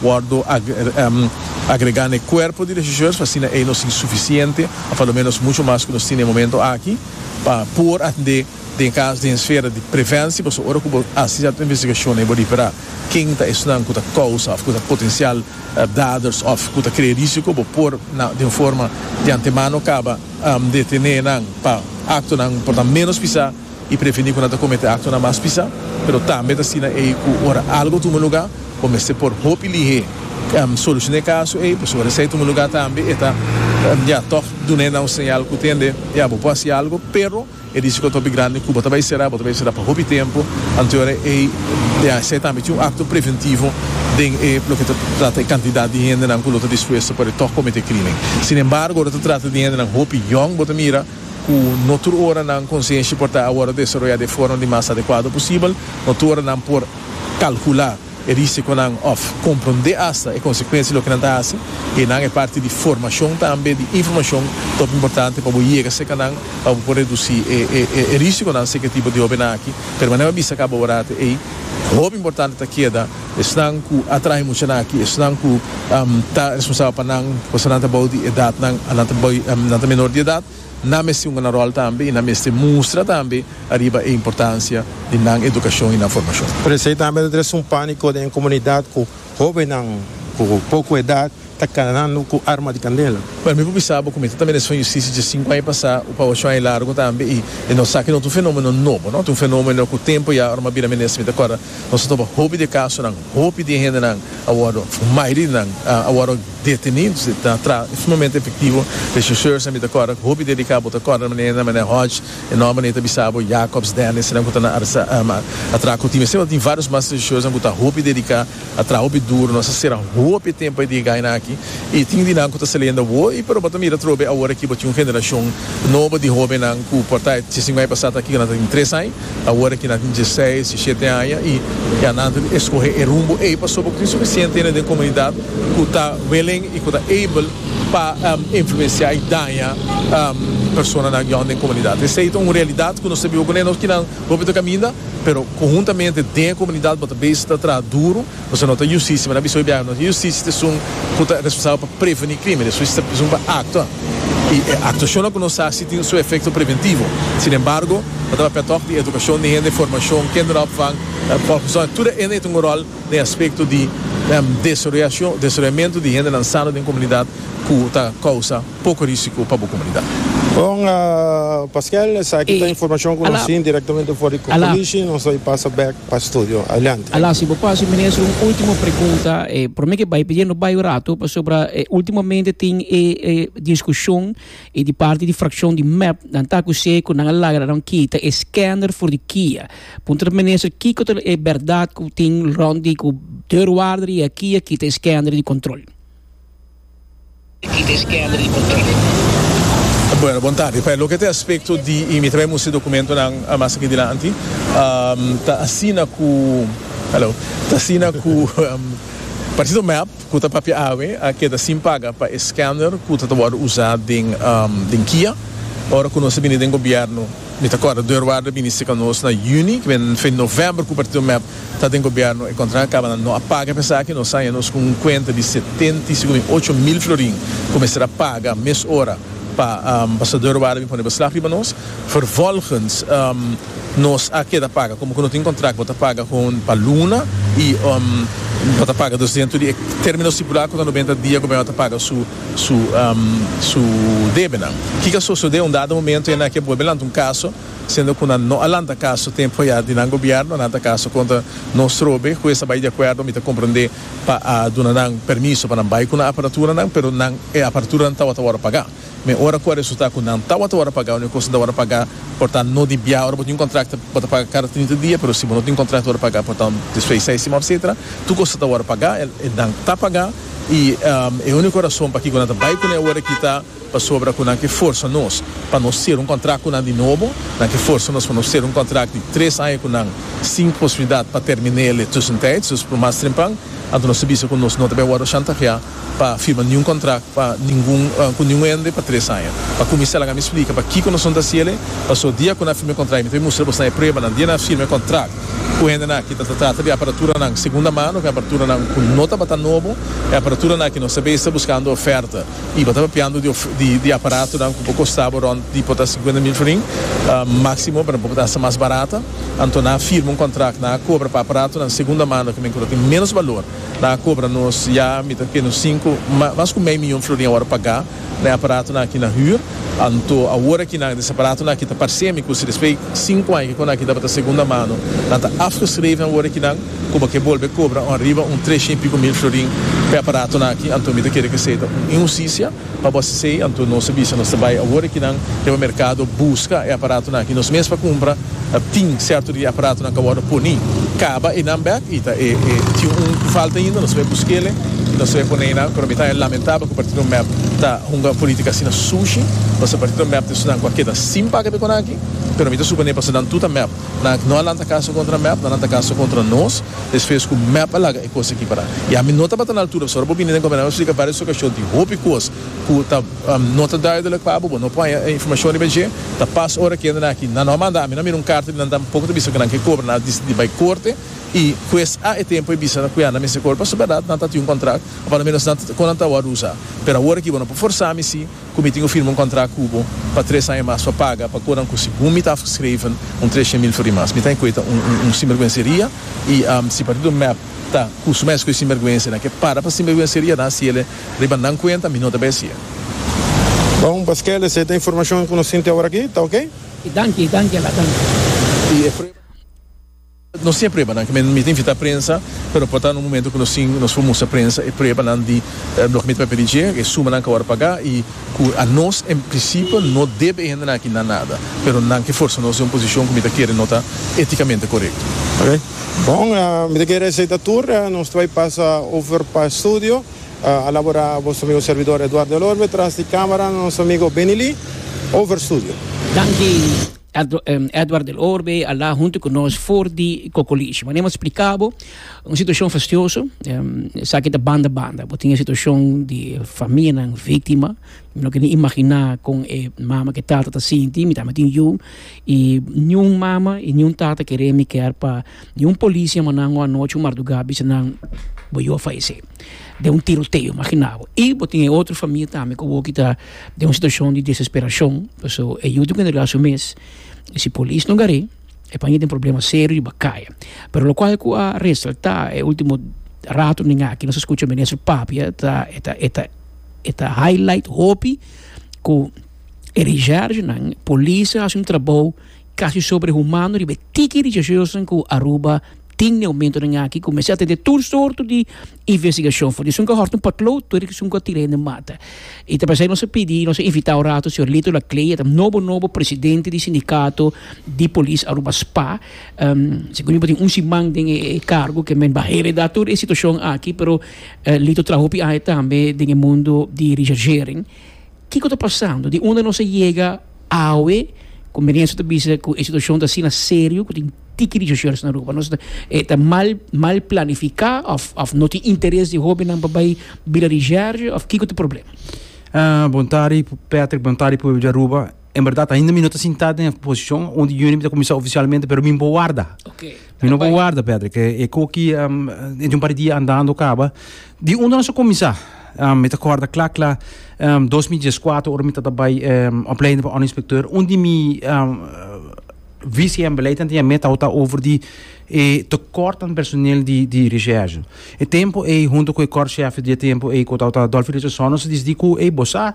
Wordo agregá na e cuerpo di regisseurs pa asina ey nos tin suficiente of a lo menos mucho mas cu nos tin na e momento aki pa por atende den cas den esfera di preventie pasobra ora cu bo haci cierto investigacion ey bo ripera ken ta esnan cu ta causa of cu ta potencial daders of cu ta crea risico bo por na den forma di antemano caba detené nan pa actonan por ta menos pisa. i previni ku nan ta komete aktonan mas pisá, pero tambe ta asina ei ku ora algu tuma lugá bo mester por hopi lihé solusioná e kaso ei, pasobra esei tuma lugá tambe e ta ya tòg dun'é nan un señal ku tende ya bo por hasi algu, pero e risiko ta hopi grandi ku bo ta bai será, bo ta bai será pa hopi tempu, anto ora ei ya esei tambe tin un akto preventivo den e loke ta trata e kantidat di hendenan ku lo ta dispuesto pa e tòg komete krímen. Sinembargo ora ta trata di hendenan hopi yòn bo ta mira. cu no tur ora nan conscienshi por ta a wordo desaroya den forma di mas adecuado posibel, no tur ora nan por calcula e risiconan of comprende hasta e consecuencia di loke nan ta haci, y nan e parti di formacion tambe di informacion top importante pa bo yega seca nan pa bo por reduci e risiconan si e tipo di hobennan aki, pero manera mi a bisa caba ora te ey, hopi importante ta keda. Esnan ku a traha e muchanan aki, esnan ku ta responsabel pa nan, kos nan ta bou di edat nan, nan ta bou, nan ta menor di edat, nan mester hunga nan ròl tambe i nan mester mustra tambe ariba e importansia di nan edukashon i nan formashon. Pero esei tambe ta trese un pániko den e komunidat ku hóbennan ku poko edat ta kanando ku arma di kandela. Pero mi por bisa bo ku mi ta ta mira esun justisia dje sinku aña pasá o pa ocho aña largu tambe i e no sa ku e no ta un fenómeno nobo, no. Ta un fenómeno ku tempu ya ora mi a bira minister mi ta kòrda nos a topa hopi di e kasonan, hopi di e hendenan a wòrdu, mayoria di nan a wòrdu detení, ta traha sumamente efektivo. Rechercheurs nan mi ta kòrda, hopi di e di ka bo ta kòrda na manera manera Hodge, e nòmber nan i ta bisa bo, Jacobs, Dennis, eseinan ku ta na arestá, a traha ku tin mi. Asina bo tin vários mas rechercheursnan ku ta hopi di e di ka. A traha hopi duru, nos a sera hopi e tempo e di gaina aki y tin di nan cu ta saliendo awo y pero bo ta mira trobe awor aki bo tin un generacion nobo di hobennan cu por ta e chisingui ai pasado aki cu nan ta tin tres ai, awor aki nan tin dieseis, diesiete aña y ya nan ta escoge e rumbo ei pasobra bo tin suficiente hende den comunidad cu ta willing y cu ta able pa influencia y daña personanan yon den comunidad. Esey ta un realidad cu nos ta biba cu ne. Hopi ta kaminda, pero konhuntamente den e komunidat bo ta bai esei ta traha duru, pasobra no ta yustisia. Mi na bisa hopi biaha, no ta yustisia ta esun ku ta responsabel pa preveni krimen, ta yustisia ta esun pa aktua. I e aktuashonnan ku no sa si tin su efekto preventivo. Sinembargo, no ta papia tòg di edukashon di hende, formashon, kinderopvang, fòlkgezondh, tur e hende ei tin un ròl den aspekto di desaroyashon, desaroyamentu di hendenan sano den komunidat ku ta kousa. poko risiko pa bo komunidat. Bon, Pasquel, esaki ta informashon ku nos tin direktamente for di Coalition. Nos ta pasa bèk pa studio. Adelante. Ala, si bo pasa, minister, un último pregunta. Por mi ke bai pidiendo baiu ratu pasobra ultimamente tin e diskushon di parti di frakshon di mep nan ta akus'é ku nan a lagra nan kita e skèner for di kia. Puntra minister kiko ta e bèrdat ku tin rònt di ku deurwaarder i a kia kita e skèner di kòntròl. Bueno, bon tardi. Pa e loke ta e aspekto di i mi ta bay musti dokumentonan mas aki dilanti, ta asina ku, hallo, ta asina ku Partido mep ku ta papia awe a keda sin paga pa e scanner ku ta ta wòrdu usá den kia. Ora ku nos a bini den gobièrnu, mi ta kòrda deurwaarder a bini sika nos na yüni, kiben fen novèmber ku Partido mep ta den gobierno e contract a caba nan no a paga pa esaki nos a haña nos cu un cuenta di setenta y cinco mi ocho mil florin cu mester a paga mes ora pa ambasador wou a bin pone beslag riba nos vervolgens nos a keda paga como cu no tin contract bo ta paga hoon pa luna y bo ta paga dus dentro di e termino stipula cu ta noventa dia gobierno a ta paga su su su debenan kiko a sosode un dado momento e nan a ke bolbe lanta un caso. Siendo cu nan no a lanta caso tempo ya di nan gobierno, nan ta caso contra nos trobe. Cu esa bay di acuerdo mi ta comprende pa a duna nan permiso pa nan bay cu nan aparaturanan, pero nan e aparaturanan tawata worde paga. Mi ora cu a resulta cu nan tawata worde paga o ni cos nan ta worde paga por ta no di bia. Ora bo tin un contract bo ta paga cada trinta dia, pero si bo no tin contract worde paga por ta despues seis siman etcetera. Tur cos ta worde paga, nan ta paga y e unico razon pakico nan ta bay cu nan e worde kita. Pasobra ku nan ke forsa nos pa nos ser un kontrakt ku nan di nobo, nan ke forsa nos pa nos ser un kontrakt di tres aña ku nan sin posibilidat pa terminé el e tussentijds, dus por mas trempan, anto nos ta bisa ku nos no ta bay wòrdu shantaheá pa firma niun kontrakt pa ningun ku niun hende pa tres aña. Pa kuminsá laga mi splika pakiko nos no ta hasi el e paso dia ku nan firma e kontrakt mi ta bay mustra bosnan e pruebanan dia nan firma e kontrakt ku hendena aki ta ta trata di aparaturanan segunda mano ku e aparaturanan ku no tabata nobo, e aparaturanan aki nos ta bay esta buskando oferta. Y bo ta papiando di aparatonan cu por costa bo rond di por ta cincuenta mil florin, maximo, pero bo por ta hasta mas barata. Anto nan a firma un contract, nan a cobra pa aparatonan segunda mano, cu men cu lo tin menos balor, nan a cobra nos ya mita cu nos cinco, mas cu mei miyon florin awor a paga na e aparatonan aki nan huur. Anto awor aki nan des aparatonan aki ta parcemi cu si despues cinco aña cu nan aki tabata segunda mano, nan ta afgeschreven awor aki nan. Cuba ke bolbe cobra un riba un tresha y pico mil florin p'e aparatonan aki, anto mi ta kere ke esey ta un inhusticia. Pa bo esey, anto nos a bisa nos ta bay awor e kinan riba mercado busca e aparatonan aki nos mes pa cumpra. Ta tin certo di e aparatonan cu a wordo poni, caba enan bek y ta e tin un cu falta ainda, nos a bay busquele y nos a bay pone enan. Pero mi ta lamentable cu Partido mep ta hunga politica asina sushi, pasobra Partido mep ta esun nan cu a keda sin paga pe conanki. Pero mi ta suponé pasobra nan tur ta mep. Nan no a lanta kaso kontra mep, nan lanta kaso kontra nos, despues ku mep a laga e kos aki pará. I ami no tabata na altura, pasobra bo bini den Gobernador Mester splika varios okashon, tin hopi kos ku ta no ta duidelek pa bo, bo no por haña e informashon riba dje, ta pas ora ku hendenan aki nan no a manda, ami no a mira un karta di nan tampoko ta bisa ku nan ke kobra, nan a disidí bai korte i hues a e tempu a bisa ku ya nan mester kobra pasobra nan tabata di un kontrak, o por lo menos kon nan ta wòrdu usá. Pero awor aki bo no por forsá mi si. Cu mi tin cu firma un contract cu bo pa tres aña mas pa paga pa coran cu segun mi ta afgeschreven un treshent mil flori mas. Mi ta encueta un un sinberguenseria y si partido mep ta cu su mes cu e sinberguense nan ke para pa sinberguenseria nan haciele riba nan cuenta mi no ta bay hacie. Bon, paskei les e ta informacion cu nos tin te awor aki. Ta ok? Y danki, y danki a la danki. Y e prueba. Nos tin e pruebanan cu mi ta invita prensa, pero por ta un momento cu nos tin, nos por mustra prensa e pruebanan di loke mi ta papia di dje, e sumanan cu awor a paga y cu anos en principio no debe e hendenan aki nan nada, pero nan ke forsa nos den un posicion cu mi ta kere no ta eticamente corecto. Ok, bon, mi ta kere esey ta tur, nos ta bay pasa over pa estudio, a labora boso amigo servidor Eduardo El Orbe, tras di camera nos amigo Benny Lee, over studio. Danki. Edward del Orbe a la hunto ku nos for di Kokolishi. Mane mo splika bo, un situashon fastioso, esaki ta banda banda. Bo tin e situashon di famianan víktima, mi no ke ni imaginá kon e mama ku e tata ta sinti, mi tambe tin yu, i niun mama i niun tata kere mi kèr pa niun polis yama nan ua anochi, un mardugá, bisa nan bo yu a falesé den un tiroteo, imaginá bo. I bo tin e otro famia tambe ku awoki ta den un situacion di desesperacion paso e yu tin ke entrega su mes y si polis no gar'e e por hende problema serio riba kaya pero lokual ku a resalta e ultimo ratonan aki nos a skucha minister papia ta e ta e ta e ta highlight hopi ku e reservenan polis a hasi un trabou kasi sobrehumano riba e tiki reservenan ku Aruba. Tin neomentonan aki ku mester a tende tur sorto di investigashon for di esun ku a hòrta un potlood tur di esun ku a tira hende mata. I ta pasá nos a pidi nos a invitá un rato señor Lito Laclée, e ta nobo nobo presidente di sindikato di polis Aruba, spa. Segun mi bo tin un siman den e kargo ke men ban heredá tur e situashon aki, pero Lito traha hopi aña tambe den e mundo di richargering. Kiko ta pasando? Di unda nos a yega? Awe ku Merienzo ta bisa ku e situashon ta asina serio, ku tin tiki di shoshoris na Aruba, nos e ta mal mal planifiká òf òf no tin interes di hóbennan pa bai Bila di Jèrjè òf kiko ta problema? Bontari, Patrick Bontari pueblo di Aruba, en bèrdat ainda mi no ta sintá den e posishon unda Unip ta kuminsá ofisialmente pero mi bo warda. Mi no por warda Pedro ke e koki e di un par di dia andando kaba di unda nos a kuminsá. Mi ta kòrda kla kla dos mil dies kuater ora mi ta ta bai opleiding pa òndereinspektør un di mi visie en beleid anto yam'é tabata over di e tekòrt den personel di di recherche. E tempu ei hunto ku e kòrshèf di e tempu ei ku tabata Dolfi Richardson nos a disidi ku ei bo sa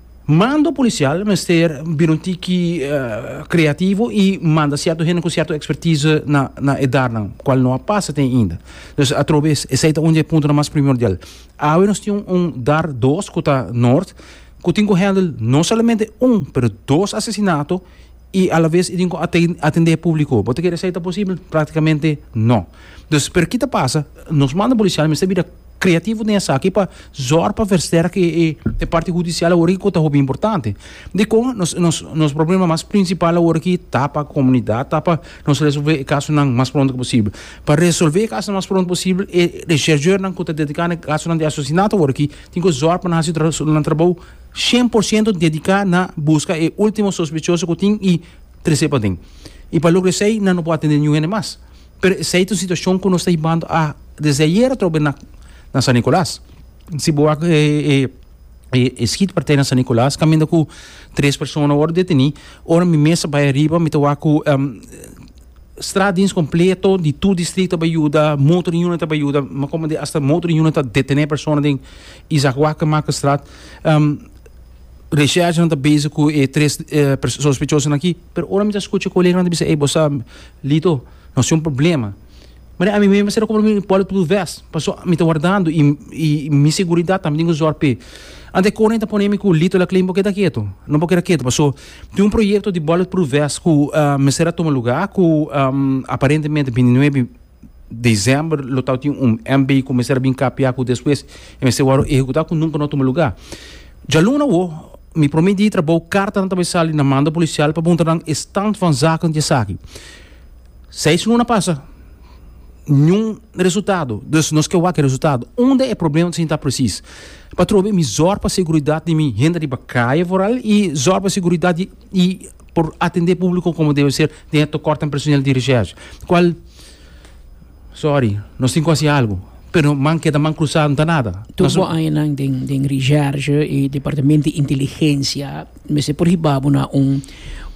Mando policial mester bira un tiki creativo y manda cierto hende cu cierto expertise na na e darnan cual no a pasa te ainda dus atrobes esey ta un di e puntonan mas primordial awe nos tin un dar dos cu ta Noord cu tin cu handle no solamente un pero dos asesinato y alabes e tin cu aten atende e publico bo ta kere esey ta posibel practicamente no dus pero kita pasa nos mando policial mester bira. creativo den esaki pa zorg pa versterke e parti hudicial awor aki cu ta hopi importante. Dicon nos nos nos problema mas principal awor aki ta pa comunidad ta pa nos resolve e casonan mas pronto posible. Pa resolve e casonan mas pronto posible e rechercheurnan cu ta dedica na e casonan di asesinato awor aki tin cu zorg pa nan haci nan trabou cien por ciento dedica na busca e ultimo sospechoso cu tin y trece paden. Y pa logra esey nan no por atende niun hende mas. Pero esei ta un situacion cu nos ta hibando a desde ayer atrobe na na San Nicolas. Si bo wak e e e schietpartij na San Nicolas caminda cu tres persona worde deteni. Ora mi mes a bay ariba mi ta wak cu straatdienst completo di tur district ta bay yuda, motor unit ta bay yuda, mi a comprende hasta motor unit ta detene persona den Isaac Walker Marcusstraat. Recherchenan ta bezig cu e tres sospechosonan aki pero ora mi ta scucha coleganan ta bisa ey bo sa. Lito, No sin problema. Mari, ami mester mester a compra mi poli tudu vest, paso mi ta wardando y mi seguridad tambe tin cu zorg p'e. Anto e Corny ta pone mi cu, Lito, Laklin, bo keda keto, no bo keda keto, paso tin un proyecto di bullet proof vest cu mester a tuma luga, cu aparentemente binti nuebe december lo ta tin un MB cu mester a bin kapia cu despues e mester wor ehecuta cu nunca no a tuma luga. Djaluna wou mi prome dia di trabou kartanan ta bai sali na manda polisial pa puntra nan e stand van zaken di esaki. Seis luna pasa niun resultado dus nos ke wak e resultado. Unda e problema ta sinta presis? Patrobe mi zòr pa seguridat di mi hende riba kaye foral i zòr pa seguridat di i por atende publiko komo debe ser den e tokortan personel di rechèrshe kual. Sorry, nos tin ku hasi algu. Pero man keda man krusá no ta nada. Tur bo añanan den den Recherche i Departamento di Inteligensia mester por hiba bo na un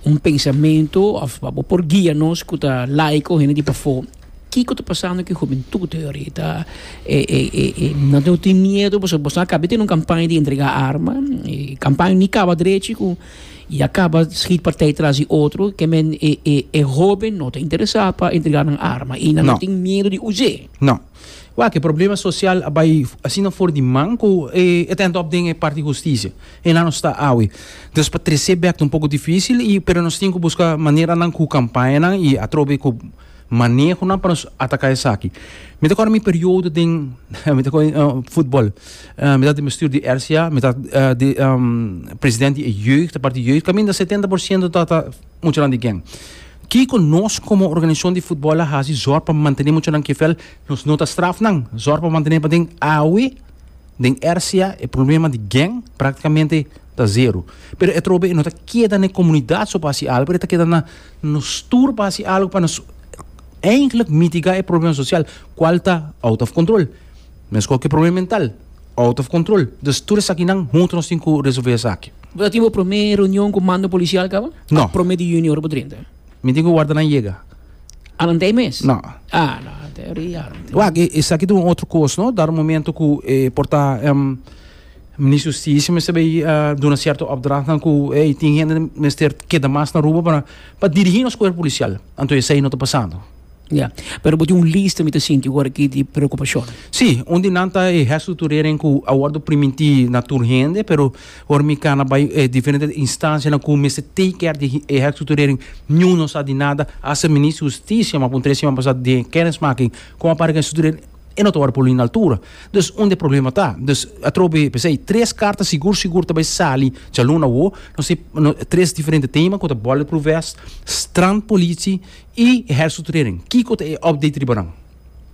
un pensamentu òf pa bo por guia nos ku ta laiko hende di pafó kiko ta pasando ku e hubentud ayoritá. E e e e nan tin miedu pasobra boso akaba di tene un kampaña di entregá arma i kampaña ni kaba drechi ku. Y a caba schid partij tras di otro, que men e e e hoben no ta interesa pa entrega nan arma y nan no No. tin miedo di us'é. No. Wak, e problema social a bai asina for di man cu e ta end up den e parti husticia. E nan nos ta awe. Dus pa trecé bek ta un poco dificil y pero nos tin cu busca maneranan cu campañanan y atrobe cu Manehonan pa nos ataka esaki. Mi ta kòrda mi periodo den mi ta kòrda futbòl. Mi tabata den bestuur di RCA, mi tabata di president di e jeugd, e parti jeugd. Kaminda setenta por siento tabata muchanan di gèn. Kiko nos komo organisashon di futbòl a hasi zòrg pa mantené muchanan kefel? Nos no ta straf nan. Zòrg pa mantené paden awe den RCA e problema di gèn praktikamente ta zero. Pero e trobe e no ta keda na e komunidat so pa hasi algu pero e ta keda na Nos tur por hasi algu pa nos eindelijk mitiga e problema sosial kual ta out of control. Mesun ku e problema mental, out of control. Dus tur esakinan huntu nos tin ku resolve esaki. Bo ta tin bo promé reunion ku mando polisial kaba? No. Promé di junio ora bo drinta? Mi tin ku warda nan yega. Alant'ei mes? No. Ah, no, alant'ei ora i alant'ei. Wak, esaki ta un otro kos, no? Dar un momento ku por ta. Minister Justicia mester bay duna cierto opdrachtnan cu ey tin hende mester keda mas na Aruba para pa dirigi nos cuerpo policial. Anto esey no ta pasando. Ya. Pero bo tin un lista mi ta sinti awor aki di preocupacionnan. Si, un di nan ta e gesto di Tureren cu a wordo primintí na tur hende, pero ora mi cana bay e diferente instancianan cu mester take care di e gesto di Tureren, niun no sa di nada. Hasta Minister Justicia, mi a puntra e siman pasado den e kennismaking con a para cu e gesto di Tureren. E no ta wòrdu pulí na altura. Dus, unda e problema ta? Dus, atrobe, p'esei, tres karta sigur sigur ta bai sali djalun awó, no si, no, tres diferente tema ku ta bulletproof vest, strandpolitie i hersutrering. Kiko ta e update riba nan?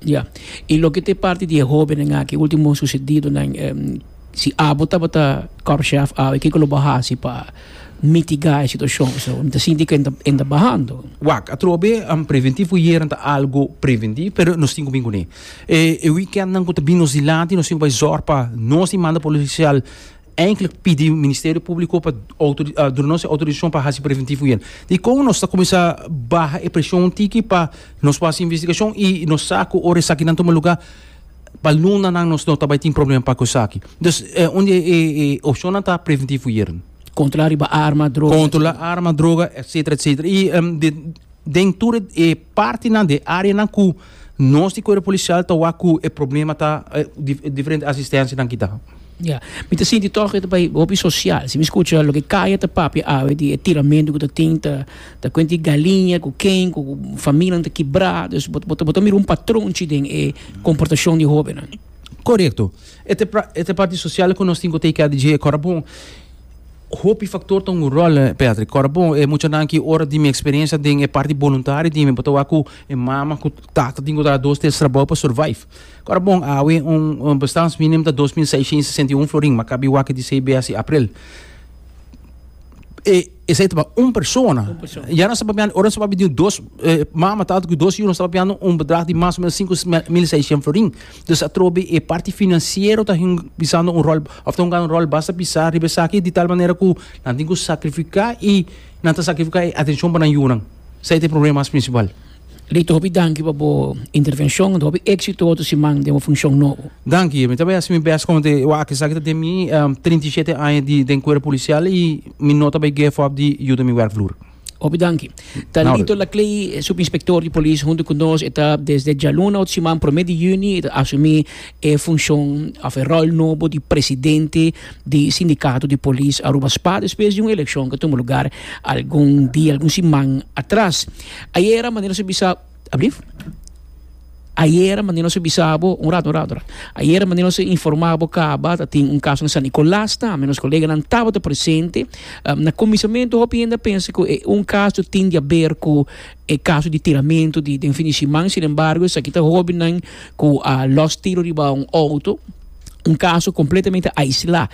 Ya. I loke ta e parti di e hóbennan aki, e último sucedidonan, si abo tabata korpschef awe, kiko lo bo hasi pa. mitigá e situashon so, mi ta sinti ku e ta bahando. Wak, atrobe preventivo ku yeren ta algu preventivo, pero nos tin ku bin kuné. E weekendnan ku ta bin nos dilanti nos tin ku bai zòrg pa nos di manda polisial enklik pidi Ministerio Públiko pa duna nos e outorisashon pa hasi preventivo ku yeren. Dikon nos ta kuminsá baha e preshon un tiki pa nos por hasi investigashon i nos sa ku ora esakinan tuma lugá. Pa lunanan nos no ta bai tin problema pa ku esaki. Dus un di e opshonnan ta preventivo yeren. Kontrolá riba arma, droga, etcetera. Kontrolá arma, droga, etcetera, etcetera. I den tur e partinan, den e áreanan ku nos di kuerpo polisial ta wak ku e problema ta diferente asistensianan ki ta. Ya. Mi ta sinti tòg e ta bai hopi sosial. Si mi skucha loke Kaya ta papia awe di e tiramentu ku ta tin ta. Ta cuenta e galiña cu ken cu familianan ta kibrá. Dus bo, bo, bo ta mira un patron chi den e comportacion di e hobennan. Correcto. E ta e pra, e ta e parti social cu nos tin cu take care di dje. Cora bon, hopi factor ta un rol, Patrick. Cora bon, e muchanan aki ora di mi experiencia den e parti boluntario di mi, bo ta wak cu e mama cu tata tin cu traha dos tels trabou pa survive. Cora bon, awe un, un bestans minimum ta dos mil seiscientos y sesenta y un florin, m'a kabi wak e di CBSC april. E. Esei ta pa un persona. Un persona. Ya no sta papiando, ora no sta papiando dos, eh, mama, tata cu dos hijos, no sta papiando un bedrag di mas o menos cinco mil seiscientos florin. Dus atrobe e parti financiero ta hin pisando un rol, of ta hunga un rol basta pisa riba esaki di tal manera cu nan tin cu sacrifica y nan ta sacrifica e atencion pa nan yunan. Esei ta e problema mas principal. Lito hopi danki pa bo intervenshon ento hopi exito oto siman den bo funshon nobo. Danki, mi ta bai hasi mi best komo te wak esaki ta den mi trinta i shete aña di den kuerpo polisial i mi no ta bai geef op di yuda mi werkvloer. Hopi danki. Ta Lito Laclay subinspector di polis hunto ku nos e ta desde djaluna oto siman prome di juni e ta asumi e funshon of e rol nobo di presidente di sindikato di polis Aruba spa despues di un elekshon ku a tuma lugar algun dia algun siman atras. Ayera manera su bisa, ablief. Ayera manera su bisa bo, un rato, un rato, un rato. Ayera manera su informa bo caba ta tin un caso na San Nicolas tambe, nos coleganan tabata presente. Na cuminsamentu hopi hende a pensa cu e un caso tindi a ber cu e caso di tiramento di den fin di siman, sin embargo esaki ta hobennan cu a los tiro riba un auto, un caso completamente aisla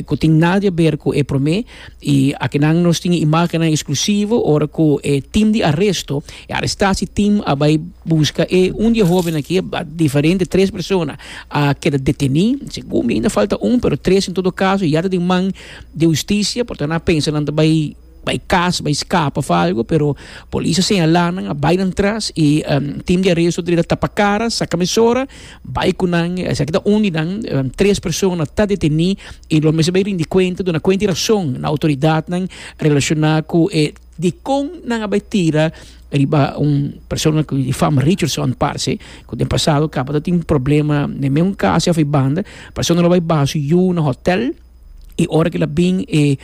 cu tin nada di a ber cu e prome. I akinan nos tin e imágennan eksklusivo ora ku e tim di aresto, e arestasitim a bai buska e un di e hóben aki, diferente tres persona a keda detení, segun mi ainda falta un pero tres en todo kaso ya ta den man di hustisia, por tanto nan a pensa nan ta bai bai kas, bai skapa òf algu pero polis a señalá nan, a bai nan tras i tim di aresto a tapa kara, saka mesora. Bai ku nan, esaki ta un di nan, tres persona ta detení i lo mester bai rindi kuenta, duna kuenta i rason na outoridatnan relashoná ku e dikon nan a bai tira riba un persona ku di fama Richardson parse ku den pasado tabata tin problema den meun kasa of e banda, persona lo bai baha su yu na hòtèl. Y ora cu el a bin e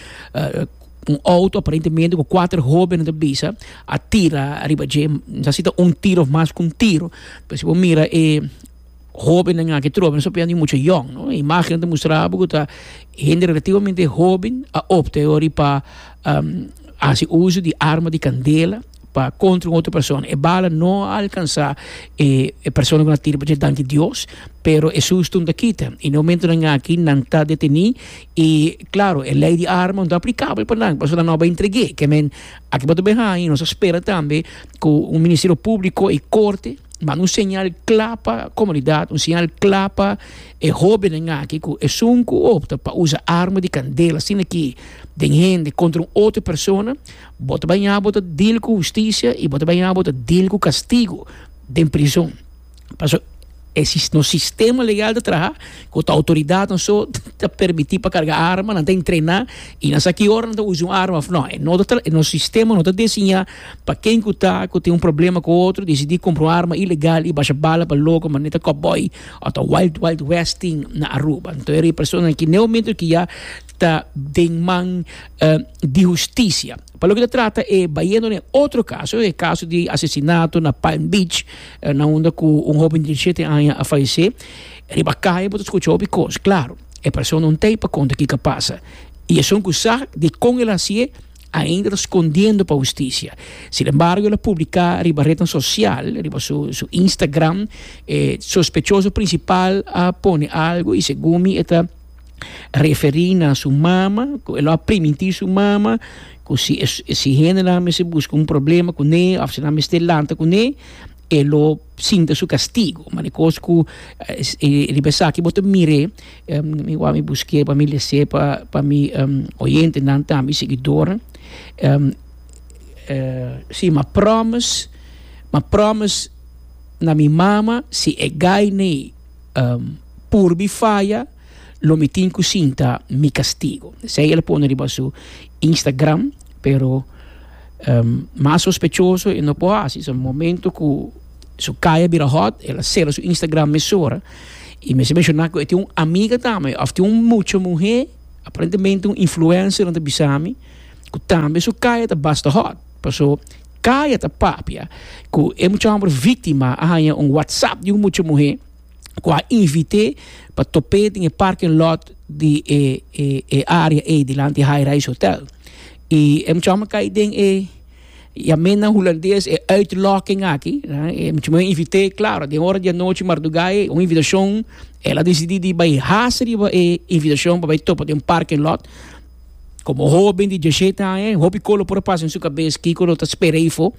un auto aparentemente cu cuatro hobennan ta bisa a tira riba dje, misa si ta un tiro of mas cu un tiro. Pues si bo mira e hobennan aki trobe no sabiendo y mucha yong no. E imagennan ta mustra bo cu ta hende relativamente hoben a opta e wor y pa haci uzo di arma di candela. pa contra un otro persona e bala no a alcansa e persona cu na tira pa dje dan di Dios pero e suston ta kita y na momentonan aki nan ta deteni y claro e ley di arma no ta aplicabel pa nan pasobra nan no a entrege ke men aki bo ta ben haña y nos a spera tambe cu un ministerio publico y corte manda un señal cla pa comunidad un señal cla pa e hobenen aki cu esun cu opta pa usa arma di candela asina aki den hende contra un otro persona. Bo ta baña bo ta dil ku hustisia i bo ta baña bo ta dil ku kastigu den prizon. Pasobra e nos sistema legal ta traha ku ta outoridatnan so ta permití pa karga arma, nan ta entrená i nan sa ki ora nan ta usa un arma òf nò. E no ta e nos sistema no ta desiñá pa ken ku ta ku tin un problema ku otro disidí kumpra un arma ilegal i basha bala pa loko manera kòpbòi òf ta wild wild west tin na Aruba. Anto e riba personanan ki ne momento ki ya ta den man di hustisia. Pa loke ta trata e bayendo den otro caso, e caso di asesinato na Palm Beach, na unda cu un hoben di diecisiete aña a falece, riba caye bo ta scucha hopi cos, claro, e persona un ta ey pa conta kico a pasa y esun cu sa dicon el a haci'e ainda ta scondiendo pa hustisia. Sin embargo el a publica riba rednan social, riba su Instagram, e sospechoso principal a pone algo y segun mi e ta. referí na su mama, ku e lo a primintí su mama, ku si e, si hendenan a mester buska un problema kuné òf si nan a mester lanta kuné, e lo sinta su kastigu. Mane kos ku riba esaki bo ta mir'é, mi wou mi busk'é pa mi lese pa, pa mi oyentenan tambe, seguidornan. sí, m'a pròmis, m'a pròmis na mi mama si e gaine purbi faya, Lo mi tin cu sin ta mi castigo. Esey el a pone riba su Instagram, pero mas sospechoso e no por haci. So momento cu su kaya a bira hot, el a cera su Instagram mesora. Y mester menciona cu e tin un amiga tambe, of tin un mucha muher, aparentemente un influencer, nan ta bisa mi cu tambe su kaya ta basta hot. Paso kaya ta papia cu e mucha homber victima a haña un whatsapp di un mucha muher. cu a invité pa topé den e parking lot di e area ey dilanti e High Rise Hotel. Y e muchacho a cay den e, ya men na Hulandes, e uitlokking aki. E muchacho a invité, claro, den ora di anochi marduga ey, un invitacion, el a decidí di bay haas riba e invitacion pa bay topa den parking lot. Komo hóben di djeshete aña e, hopi kolo por a pasa den su kabes kiko lo ta spera ei fo.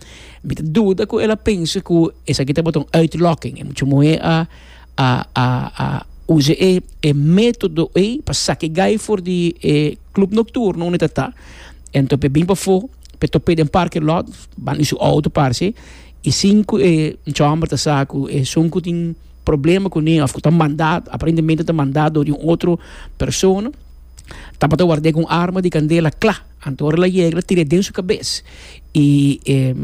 Mi ta duda ku el a pensa ku esaki tabata un uitlòking. E mucha muhé a a a a usa e e método ei pa saka e gai for di e klub nokturno unda e ta ta. Anto p'e bin pafó, p'e top'é den parke lòt, banda di su outo parse, i sin ku e chòmber ta sa ku esun ku tin problema kuné òf ku ta mandá, aparentemente ta mandá dor di un otro persona, tabata ward'é ku un arma di kandela kla. Anto ora el a yega el a tir'é den su kabes i e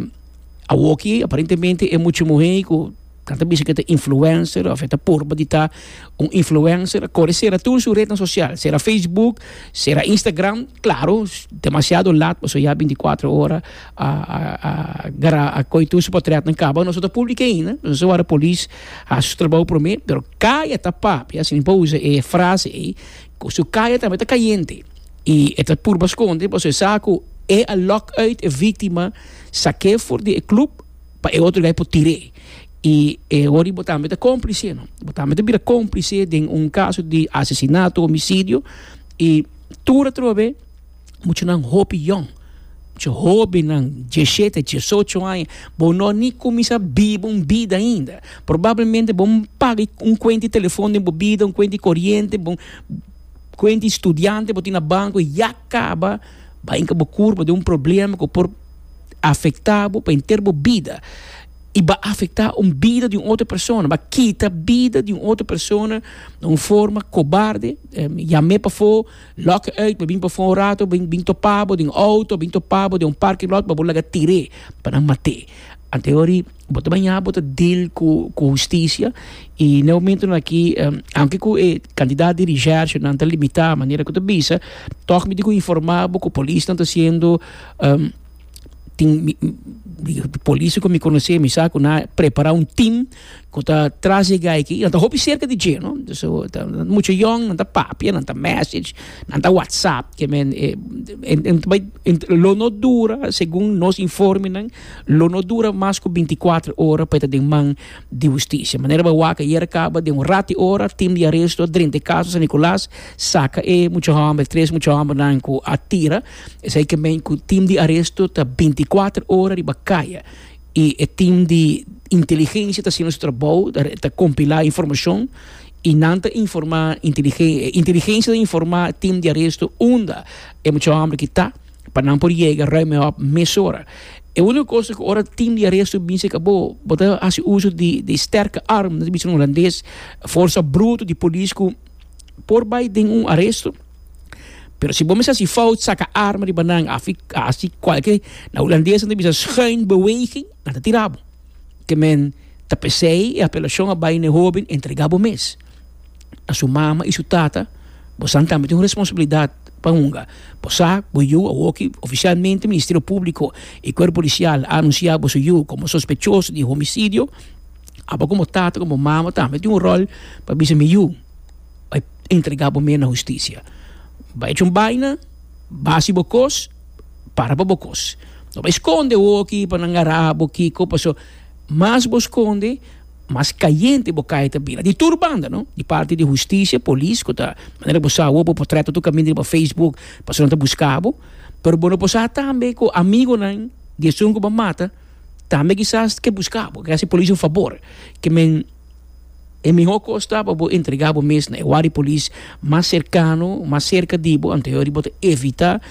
awoki aparentemente e mucha muhé ku nan ta bisa ku e ta influencer òf e ta purba di ta un influencer a kore sera tur su retnan sosial, sera facebook, sera instagram, klaro, demasiado lat pasobra ya binti kuater ora. a koy tur su patriat nan kaba nos no ta publica ainda nos a wardá polis haci su trabou prome pero kaya ta papia si mi por usa e frase ey cu su kaya tambe ta cayente y e ta purba sconde pasobra e sa cu e a lock uit e victima saque for di e club pa e otro guy por tire y e hora'i bo tambe ta complice no bo tambe ta bira complice den un caso di asesinato homicidio y tur atrobe muchanan hopi yòn, mucha hobennan djeshé ta djesocho aña, bo no a ni kuminsá biba un bida ainda. Probablemente bo paga un kuenta di telefòn den bo bida, un kuenta di koriente, bo kuenta di studiante bo tin na banko i ya kaba, bai hinka bo kurpa den un problema ku por afektá bo pa henter bo bida. I ba afektá un bida di un otro persona, ba kita bida di un otro persona na un forma kobarde, yam'é pafó. Lòk uit, bo bin pafó un rato, bo bin topá bo den un outo, bin topá bo den un parking lot, bo laga tir'é pa nan mat'é. Ante ho'ri bo ta bañá bo ta dil ku ku hustisia i na e momentonan aki aunke ku e kantidat di recherchenan ta limitá manera ku ta bisa tòg mi tin ku informá bo ku polisnan ta hasiendo tin polisnan ku mi konosé mi sa ku nan a prepará un tim ku ta tras e gai aki, nan ta hopi serka di dje no, so ta mucha yòn, nan ta papia, nan ta mèsech, nan ta whatsapp, ke men e lo no dura, segun nos informenan, lo no dura mas ku binti kuater ora pa e ta den man di hustisia. Manera bo a wak ayer a kaba, den un rat i ora tim di aresto drenta e kaso San Nicolas saka e mucha hòmber, e tres mucha hòmbernan ku a tira, esei ke men ku tim di aresto ta binti kuater ora riba kaya. y e team di inteligencia ta haciendo su trabao ta compila informacion y nan ta informa inteligencia ta informa team di aresto unda e mucha hombre ki ta pa nan por yega ruim e hopi mesora e unico cosa cu ora team di aresto bin cerca bo bo ta haci uso di di sterke arm nan ta bisa na holandes forsa bruto di polis cu por bay den un aresto. Pero si bo mester si fout saca arma riba nan, afi asi cualquier, na Hulandes ta bisa schijnbeweging, nan ta tira bo. Ke men ta pesey e apelacion a bay na e hoben entrega bo mes na su mama y su tata, bosan tambe tin un responsabilidad pa hunga. Bo sa cu bo yu awoki oficialmente Ministerio Publico y Cuerpo Policial a anuncia boso yu como sospechoso di homicidio, abo como tata, como mama tambe tin un rol pa bisa mi yu. Bai entrega bo mea na husticia. Bai haci un baina, bai haci bo cos, para pa bo cos. No bai sconde hoki pa nan gara bo kico, paso mas bo sconde mas cayente bo cay ta bira. Di tur banda no, di parti di husticia, polis cu ta manera cu bo sa awo bo potret ta tur caminda riba facebook paso nan ta busca bo. Pero bo no por sa tambe cu amigonan di esun cu bo a mata tambe kisas ke busca bo, ke haci polis un fabor, ke men. E mihó kos ta pa bo entregá bo mes na e wak di polis mas serkano, mas serka di bo, anto yori bo ta evitá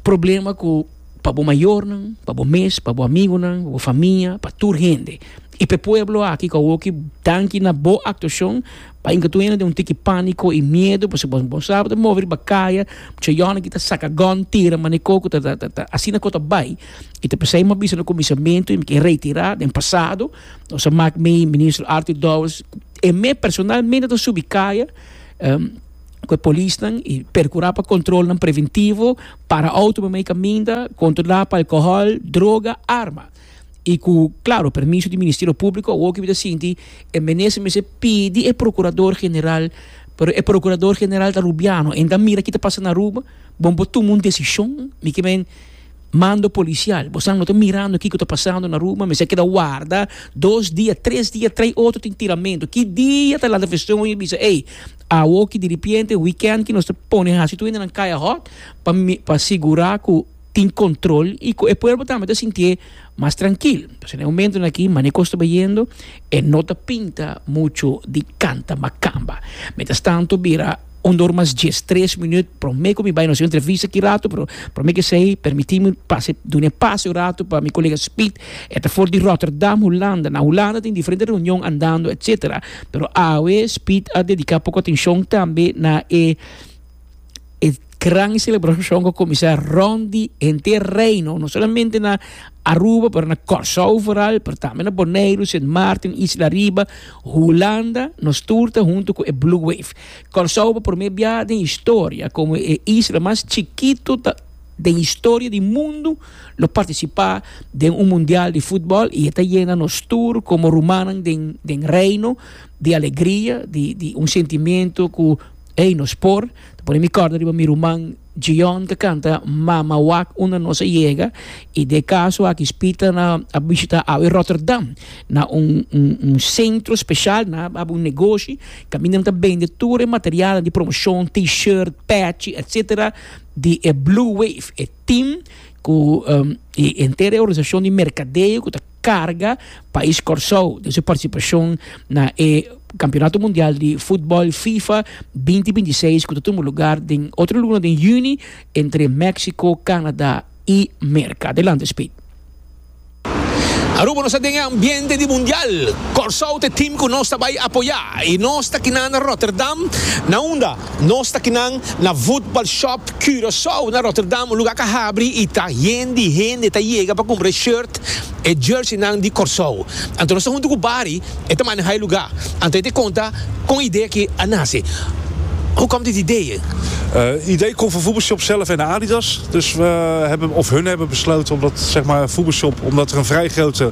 problema ku pa bo mayornan, pa bo mes, pa bo amigunan, bo famia, pa tur hende. I p'e pueblo aki ku awoki danki na bo aktuashon pa inka tur hende den un tiki pániko i miedu pasobra bo bo sa bo ta move riba kaya mucha yòna aki ta saka gòn tira manikó ku ta ta ta asina ku ta bai i ta pasá e m'a bisa na kuminsamentu i mi ke reitirá den pasado Nos a mak mi, Minister Arthur Dowers, e me personalmente ta subi kaya ku e polisnan i perkurá pa kontrolnan preventivo, para outo pa mei kaminda, kontrolá pa alkohòl, droga, arma. I ku klaro permiso di Ministerio Públiko awor ke mi ta sinti e Minister mester pidi e Prokurador General, pero e Prokurador General ta Rubiano, e ta mira ki ta pasa na Aruba, bon bo tuma un desishon, mi ke men Mando policial, bo sa no ta mirando kico ta pasando na Aruba, mester keda warda dos dia, tres dia, trae otro tin tiramento, ki dia ta laat version y bisa ey, awoki diripiente weekend ki nos ta pone haci tur hende nan kaya hot pa pa sigura cu tin control y cu e pueblo tambe ta sintie mas trankil. Entonces na e momentonan aki mane cos ta bayendo e no ta pinta mucho di canta macamba. Mientras tanto bira. Un dor mas dies, tres minüt promé ku mi bai, nos a entrevista ki ratu, pero promé ku esei permití mi pasa e, duna e pase un ratu pa mi kolega Speed. E ta for di Rotterdam, Hulanda. Na Hulanda tin diferente reunion andando, etsetera. Pero awe Speed a dediká poko atenshon tambe na e e gran selebrashon ku a kuminsá rònt di henter Reino, no solamente na Aruba pero na Kòrsou foral, pero tambe na Boneiru, Sint Maarten, Isla Riba, Hulanda nos tur ta huntu ku e Blue Wave. Kòrsou pa promé biaha den historia komo e isla mas chikitu ta den historia di mundu lo partisipá den un mundial di futbòl i e ta yena nos tur komo rumannan den den reino di alegria di di un sentimentu ku ey nos por ta pone mi kòrda riba mi ruman Jion ta canta Mama wak unda nos a yega y den e caso aki Spita na a bishita awe Rotterdam na un un centro special na hab un negoshi caminda nan ta bende tur e material di promoshon T-shirt, patchi etc. Di e Blue Wave e team cu y entero e organisacion di mercadeo cu ta. carga pais Corsou den su participacion na e Campeonato Mundial di Futbol Fifa binti binti seis cu ta tuma lugar den otro luna den juni entre Mexico, Canada y Merca. Adelante Speed. Aruba nos ta den e ambiente di Mundial. Corsou ta e team cu nos ta bay apoya y nos ta kinan na Rotterdam na unda Nos ta kinan na Voetbal Shop Curaçao na Rotterdam, un lugar ca habri y ta yen di hende ta yega pa cumpra e shirt, e jerseynan di Corsou. Anto nos ta hunto cu Barry, e ta maneha e lugar. Anto e ta conta con e idea aki a nace. Who come dit idee? Het idee komt van Voetbalshop zelf en Adidas. Dus we hebben, of hun hebben besloten om dat, zeg maar, Voetbalshop, omdat er een vrij grote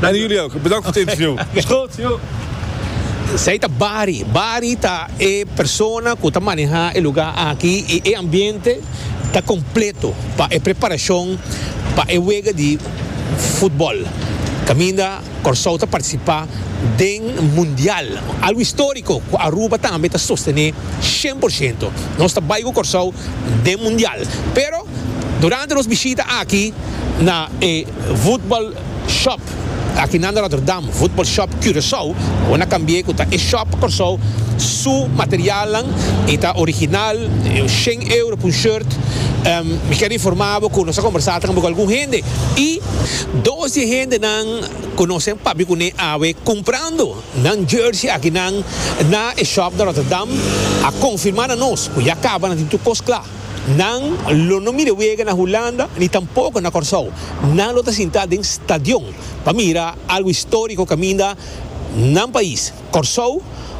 Dani Julio, oke. Bedank for tip, señor. Sco, señor. Esei ta Bari. Bari ta e persona ku ta maneha e lugá aki i e ambiente ta kompleto pa e preparashon pa e wega di futbòl kaminda Kòrsou ta partisipá den mundial. Algu istóriko ku Aruba tambe ta sostené shen por shento. Nos ta bai ku Kòrsou den mundial. Pero durante nos bishita aki na e futbòl Shop, aki nan Rotterdam, Voetbal Shop Curaçao, bo na cambi'e cu ta e Shop Corsou, su materialnan y ta original, shen euro p'un shirt, mi quier informabo cu nos a conversa tambe cu algun hende y, dos di e hendenan cu nos a papia cune awe cumprando nan jersey aki nan na e Shop na Rotterdam a confirma na nos cu ya caba nan tin tur cos cla. Nan lo no mira wega na Hulanda ni tampoko na Kòrsou. Nan lo ta sintá den stadion pa mira algu istóriko kaminda nan pais. Kòrsou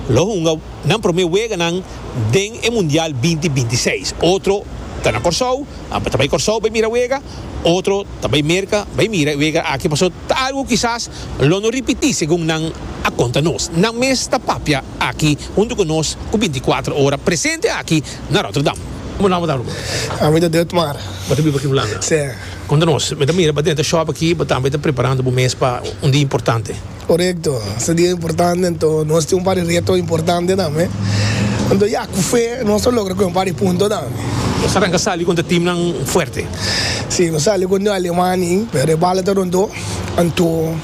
lo hunga nan promé weganan den e Mundial binti binti seis. Otro ta na Kòrsou, ta bai Kòrsou bai mira wega, otro ta bai Merka bai mira e wega aki. Paso ta algu kisas lo no ripití segun nan a konta nos. Nan mes ta papia aki huntu ku nos ku binti kuater ora presente aki. Na Rotterdam. Como nan bo ta Aruba? Ami ta di Otmar. Bo ta biba aki Hulanda? Sí. Con ta nos. Mi ta mira bo denter shop aki bo tambe ta preparando bo mes pa un dia importante. Corecto. Es un dia importante anto nos tin un par di reto importante tambe. Anto ya, cu fe nos lo logra coge un par di punto tambe. Nos ta arranca sali contra teamnan fuerte. Sí, nos sali contra Alemania ahi, pero e bala ta rondó. Anto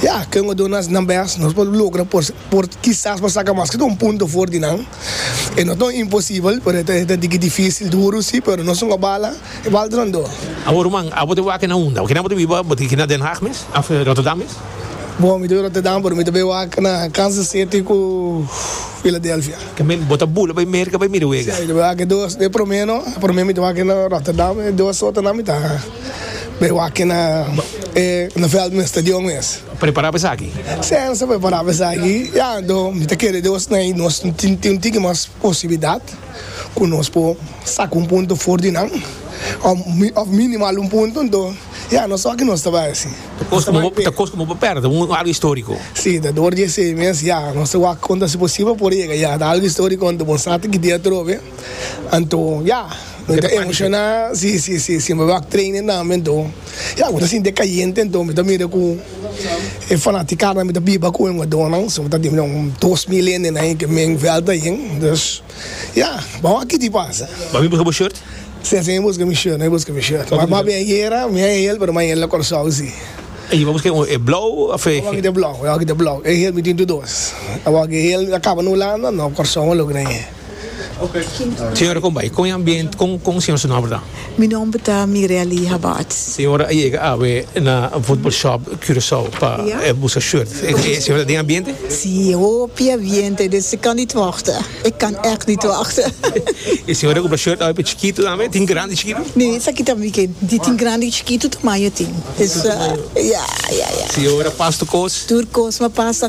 ya, ken bo ta duna nan best nos pa logra por, por kisas pa saca mas ke todo un punto for di nan. E no ta un imposibel, pero e ta diki dificil, duru si, pero nos un obala, e balde nan do. Awo ruman, abo ta waka na unda? Bo kina bo ta biba? Bo ta hiki na Den Haag mes? Of Rotterdam mes? Bon, mi ta biba Rotterdam, pero mi ta bai waka na Kansas City ku Philadelphia. Tambe bo ta bula bai Merka bai mira wega? Si, mi ta bai waka e dos. E prome no, e prome mi ta waka na Rotterdam, e dos otanan mi ta. Pero aki na e na veld mester di un mes. Prepará pa esaki? Sènsa prepará pa esaki. Ya anto mi ta kere Deus na i nos tin tin un tiki mas posibilidat ku nos por saka un punto for di nan òf mi òf minimal un punto anto ya nos oki nos ta bai asi. Ta kos komo bo ta kos komo bo pèrdè un algu istoriko. Si, ta dor di esei mes ya. Nos ta wak konta si posibel por yega ya ta algu istoriko anto bo sa ta kidia atrobe anto ya. Mi ta emoshoná si mi wak training tambe anto ya mi ta sinti e kayente anto mi ta mira ku e fanatikarnan mi ta biba ku e hugadónan so mi ta tingnan un dos mil hendenan ahi ke men vèlta ahin dus ya bo a wak kiti pasa. Bo a bin buska bo shirt? Si esei mi buska mi shirt a bin buska mi shirt mi a bin ayera mi a hel pero mi a hel na Kòrsou si. Ayi bo a buska e blou of e. Mi a wak kit e blou mi a wak kit e blou e hel mi tin tur dos a wak e hel mi ta kaba na Hulanda no Kòrsou a logra ahi. Señora con bay con e ambient con con señor su nomber ta? Mi nomber ta Mirelie Habaerts. Señora a yega awe na football shop Curacao pa busca shirt e señora ta den ambiente? Si e hopi ambiente dus e kan niet wachten e kan echt niet wachten. E señora a compra shirt awe pa chikito tambe tin grandi y chikito? Ne esaki ta mi ke di tin grandi y chikito tamaño tin. Señora pasa tur cos? Tur cos mi a pasa.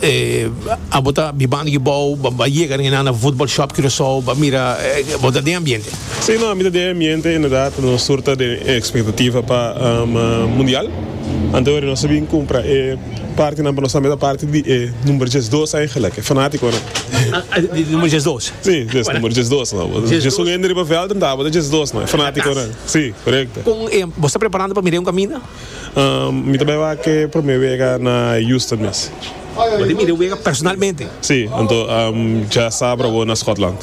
Eh, abo ta bibando aki bou, bo a yega den enan na Voetbal Shop Curaçao, bo a mira, eh, bo ta den e ambiente? Sí, no, mi ta den e ambiente, inderdaad, nos tur ta den e expectativa pa, ehm, Mundial. Antehoren nos a bin cumpra e partenan pa nos tambe ta parte di e number diesdos eigenlijk, e fanaticonan. Di number diesdos? Sí, yes, number diesdos, no. Diesdos. Jesús hende riba veld, entabata diesdos, no, e fanaticonan. Sí, correcto. Con e, bo sta preparando pa mira e un caminda? Mi ta bai wak e prome wega na Houston mes. Bo ta mira e wega personalmente? Sí, anto dja sabra bo na Scotland.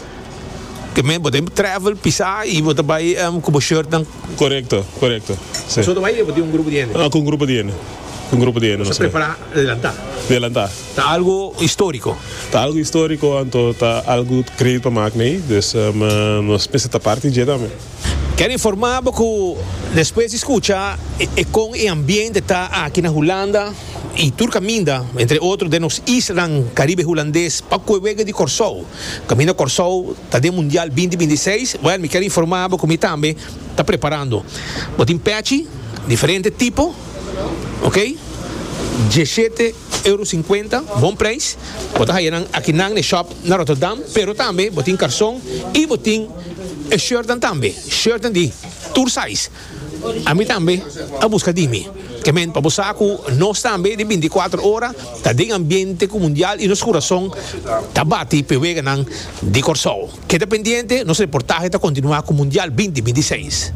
Te men bo ta travel pisa y bo ta bai cu bo shirtnan? Corecto, corecto. Bo so ta bai y bo tin un grupo di hende? Cu un grupo di hende, cu un grupo di hende. Bo sa prepara adelanta? Di adelanta. Ta algo historico? Ta algo historico, anto ta algo greit pa mak na ey, dus nos mester ta parti dje tambe. Kel informabo ku despues di skucha e kon e ambiente ta aki na Hulanda i tur kaminda, entre otro den nos islanan Karibe Hulandes, pa kuewegue di Kòrsou. Kaminda Kòrsou ta den Mundial binti binti seis, wèl mi kel informabo ku mi tambe ta preparando. Bo tin pèchi diferente tipo, ok, dieshete euro sinkuenta, bon preis. Bo ta haya nan aki nan na e shòp na Rotterdam, pero tambe bo tin karson i bo tin. E shirtnan tambe, shirtnan di tur size, ami tambe a buska dimi. Ke men pa bo sa ku nos tambe di binti kuater ora ta den ambiente ku mundial i nos kurason ta bati p'e weganan di Kòrsou. Keda pendiente, nos reportahe ta kontinuá ku Mundial binti binti i seis.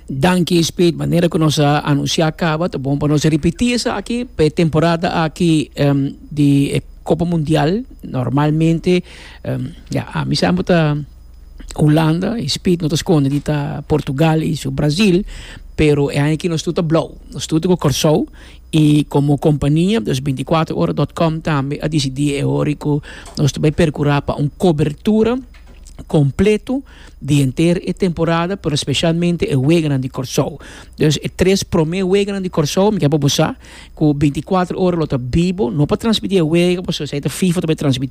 Danki Speed, manera ku nos a anunsiá kaba, ta bon pa nos ripití esaki p'e temporada aki di e Kopa Mundial. Normalmente. Um, ya, a mi sa bo ta Hulanda, e speed no ta skonde di ta Portugal y su Brazil, pero e aña aki nos tur ta blauw, nos tur ta go Kòrsou, y como compania, dus binticuatro ora dot com tambe a dicidi e hori cu nos ta bay percura pa un cobertura completo di henter e temporada, pero specialmente e weganan di Kòrsou. Dus e tres prome weganan di Kòrsou, mi ke pa bo sa cu binticuatro ora lo ta bibo, no pa transmiti e wega, pasobra esei ta FIFA ta bay transmiti.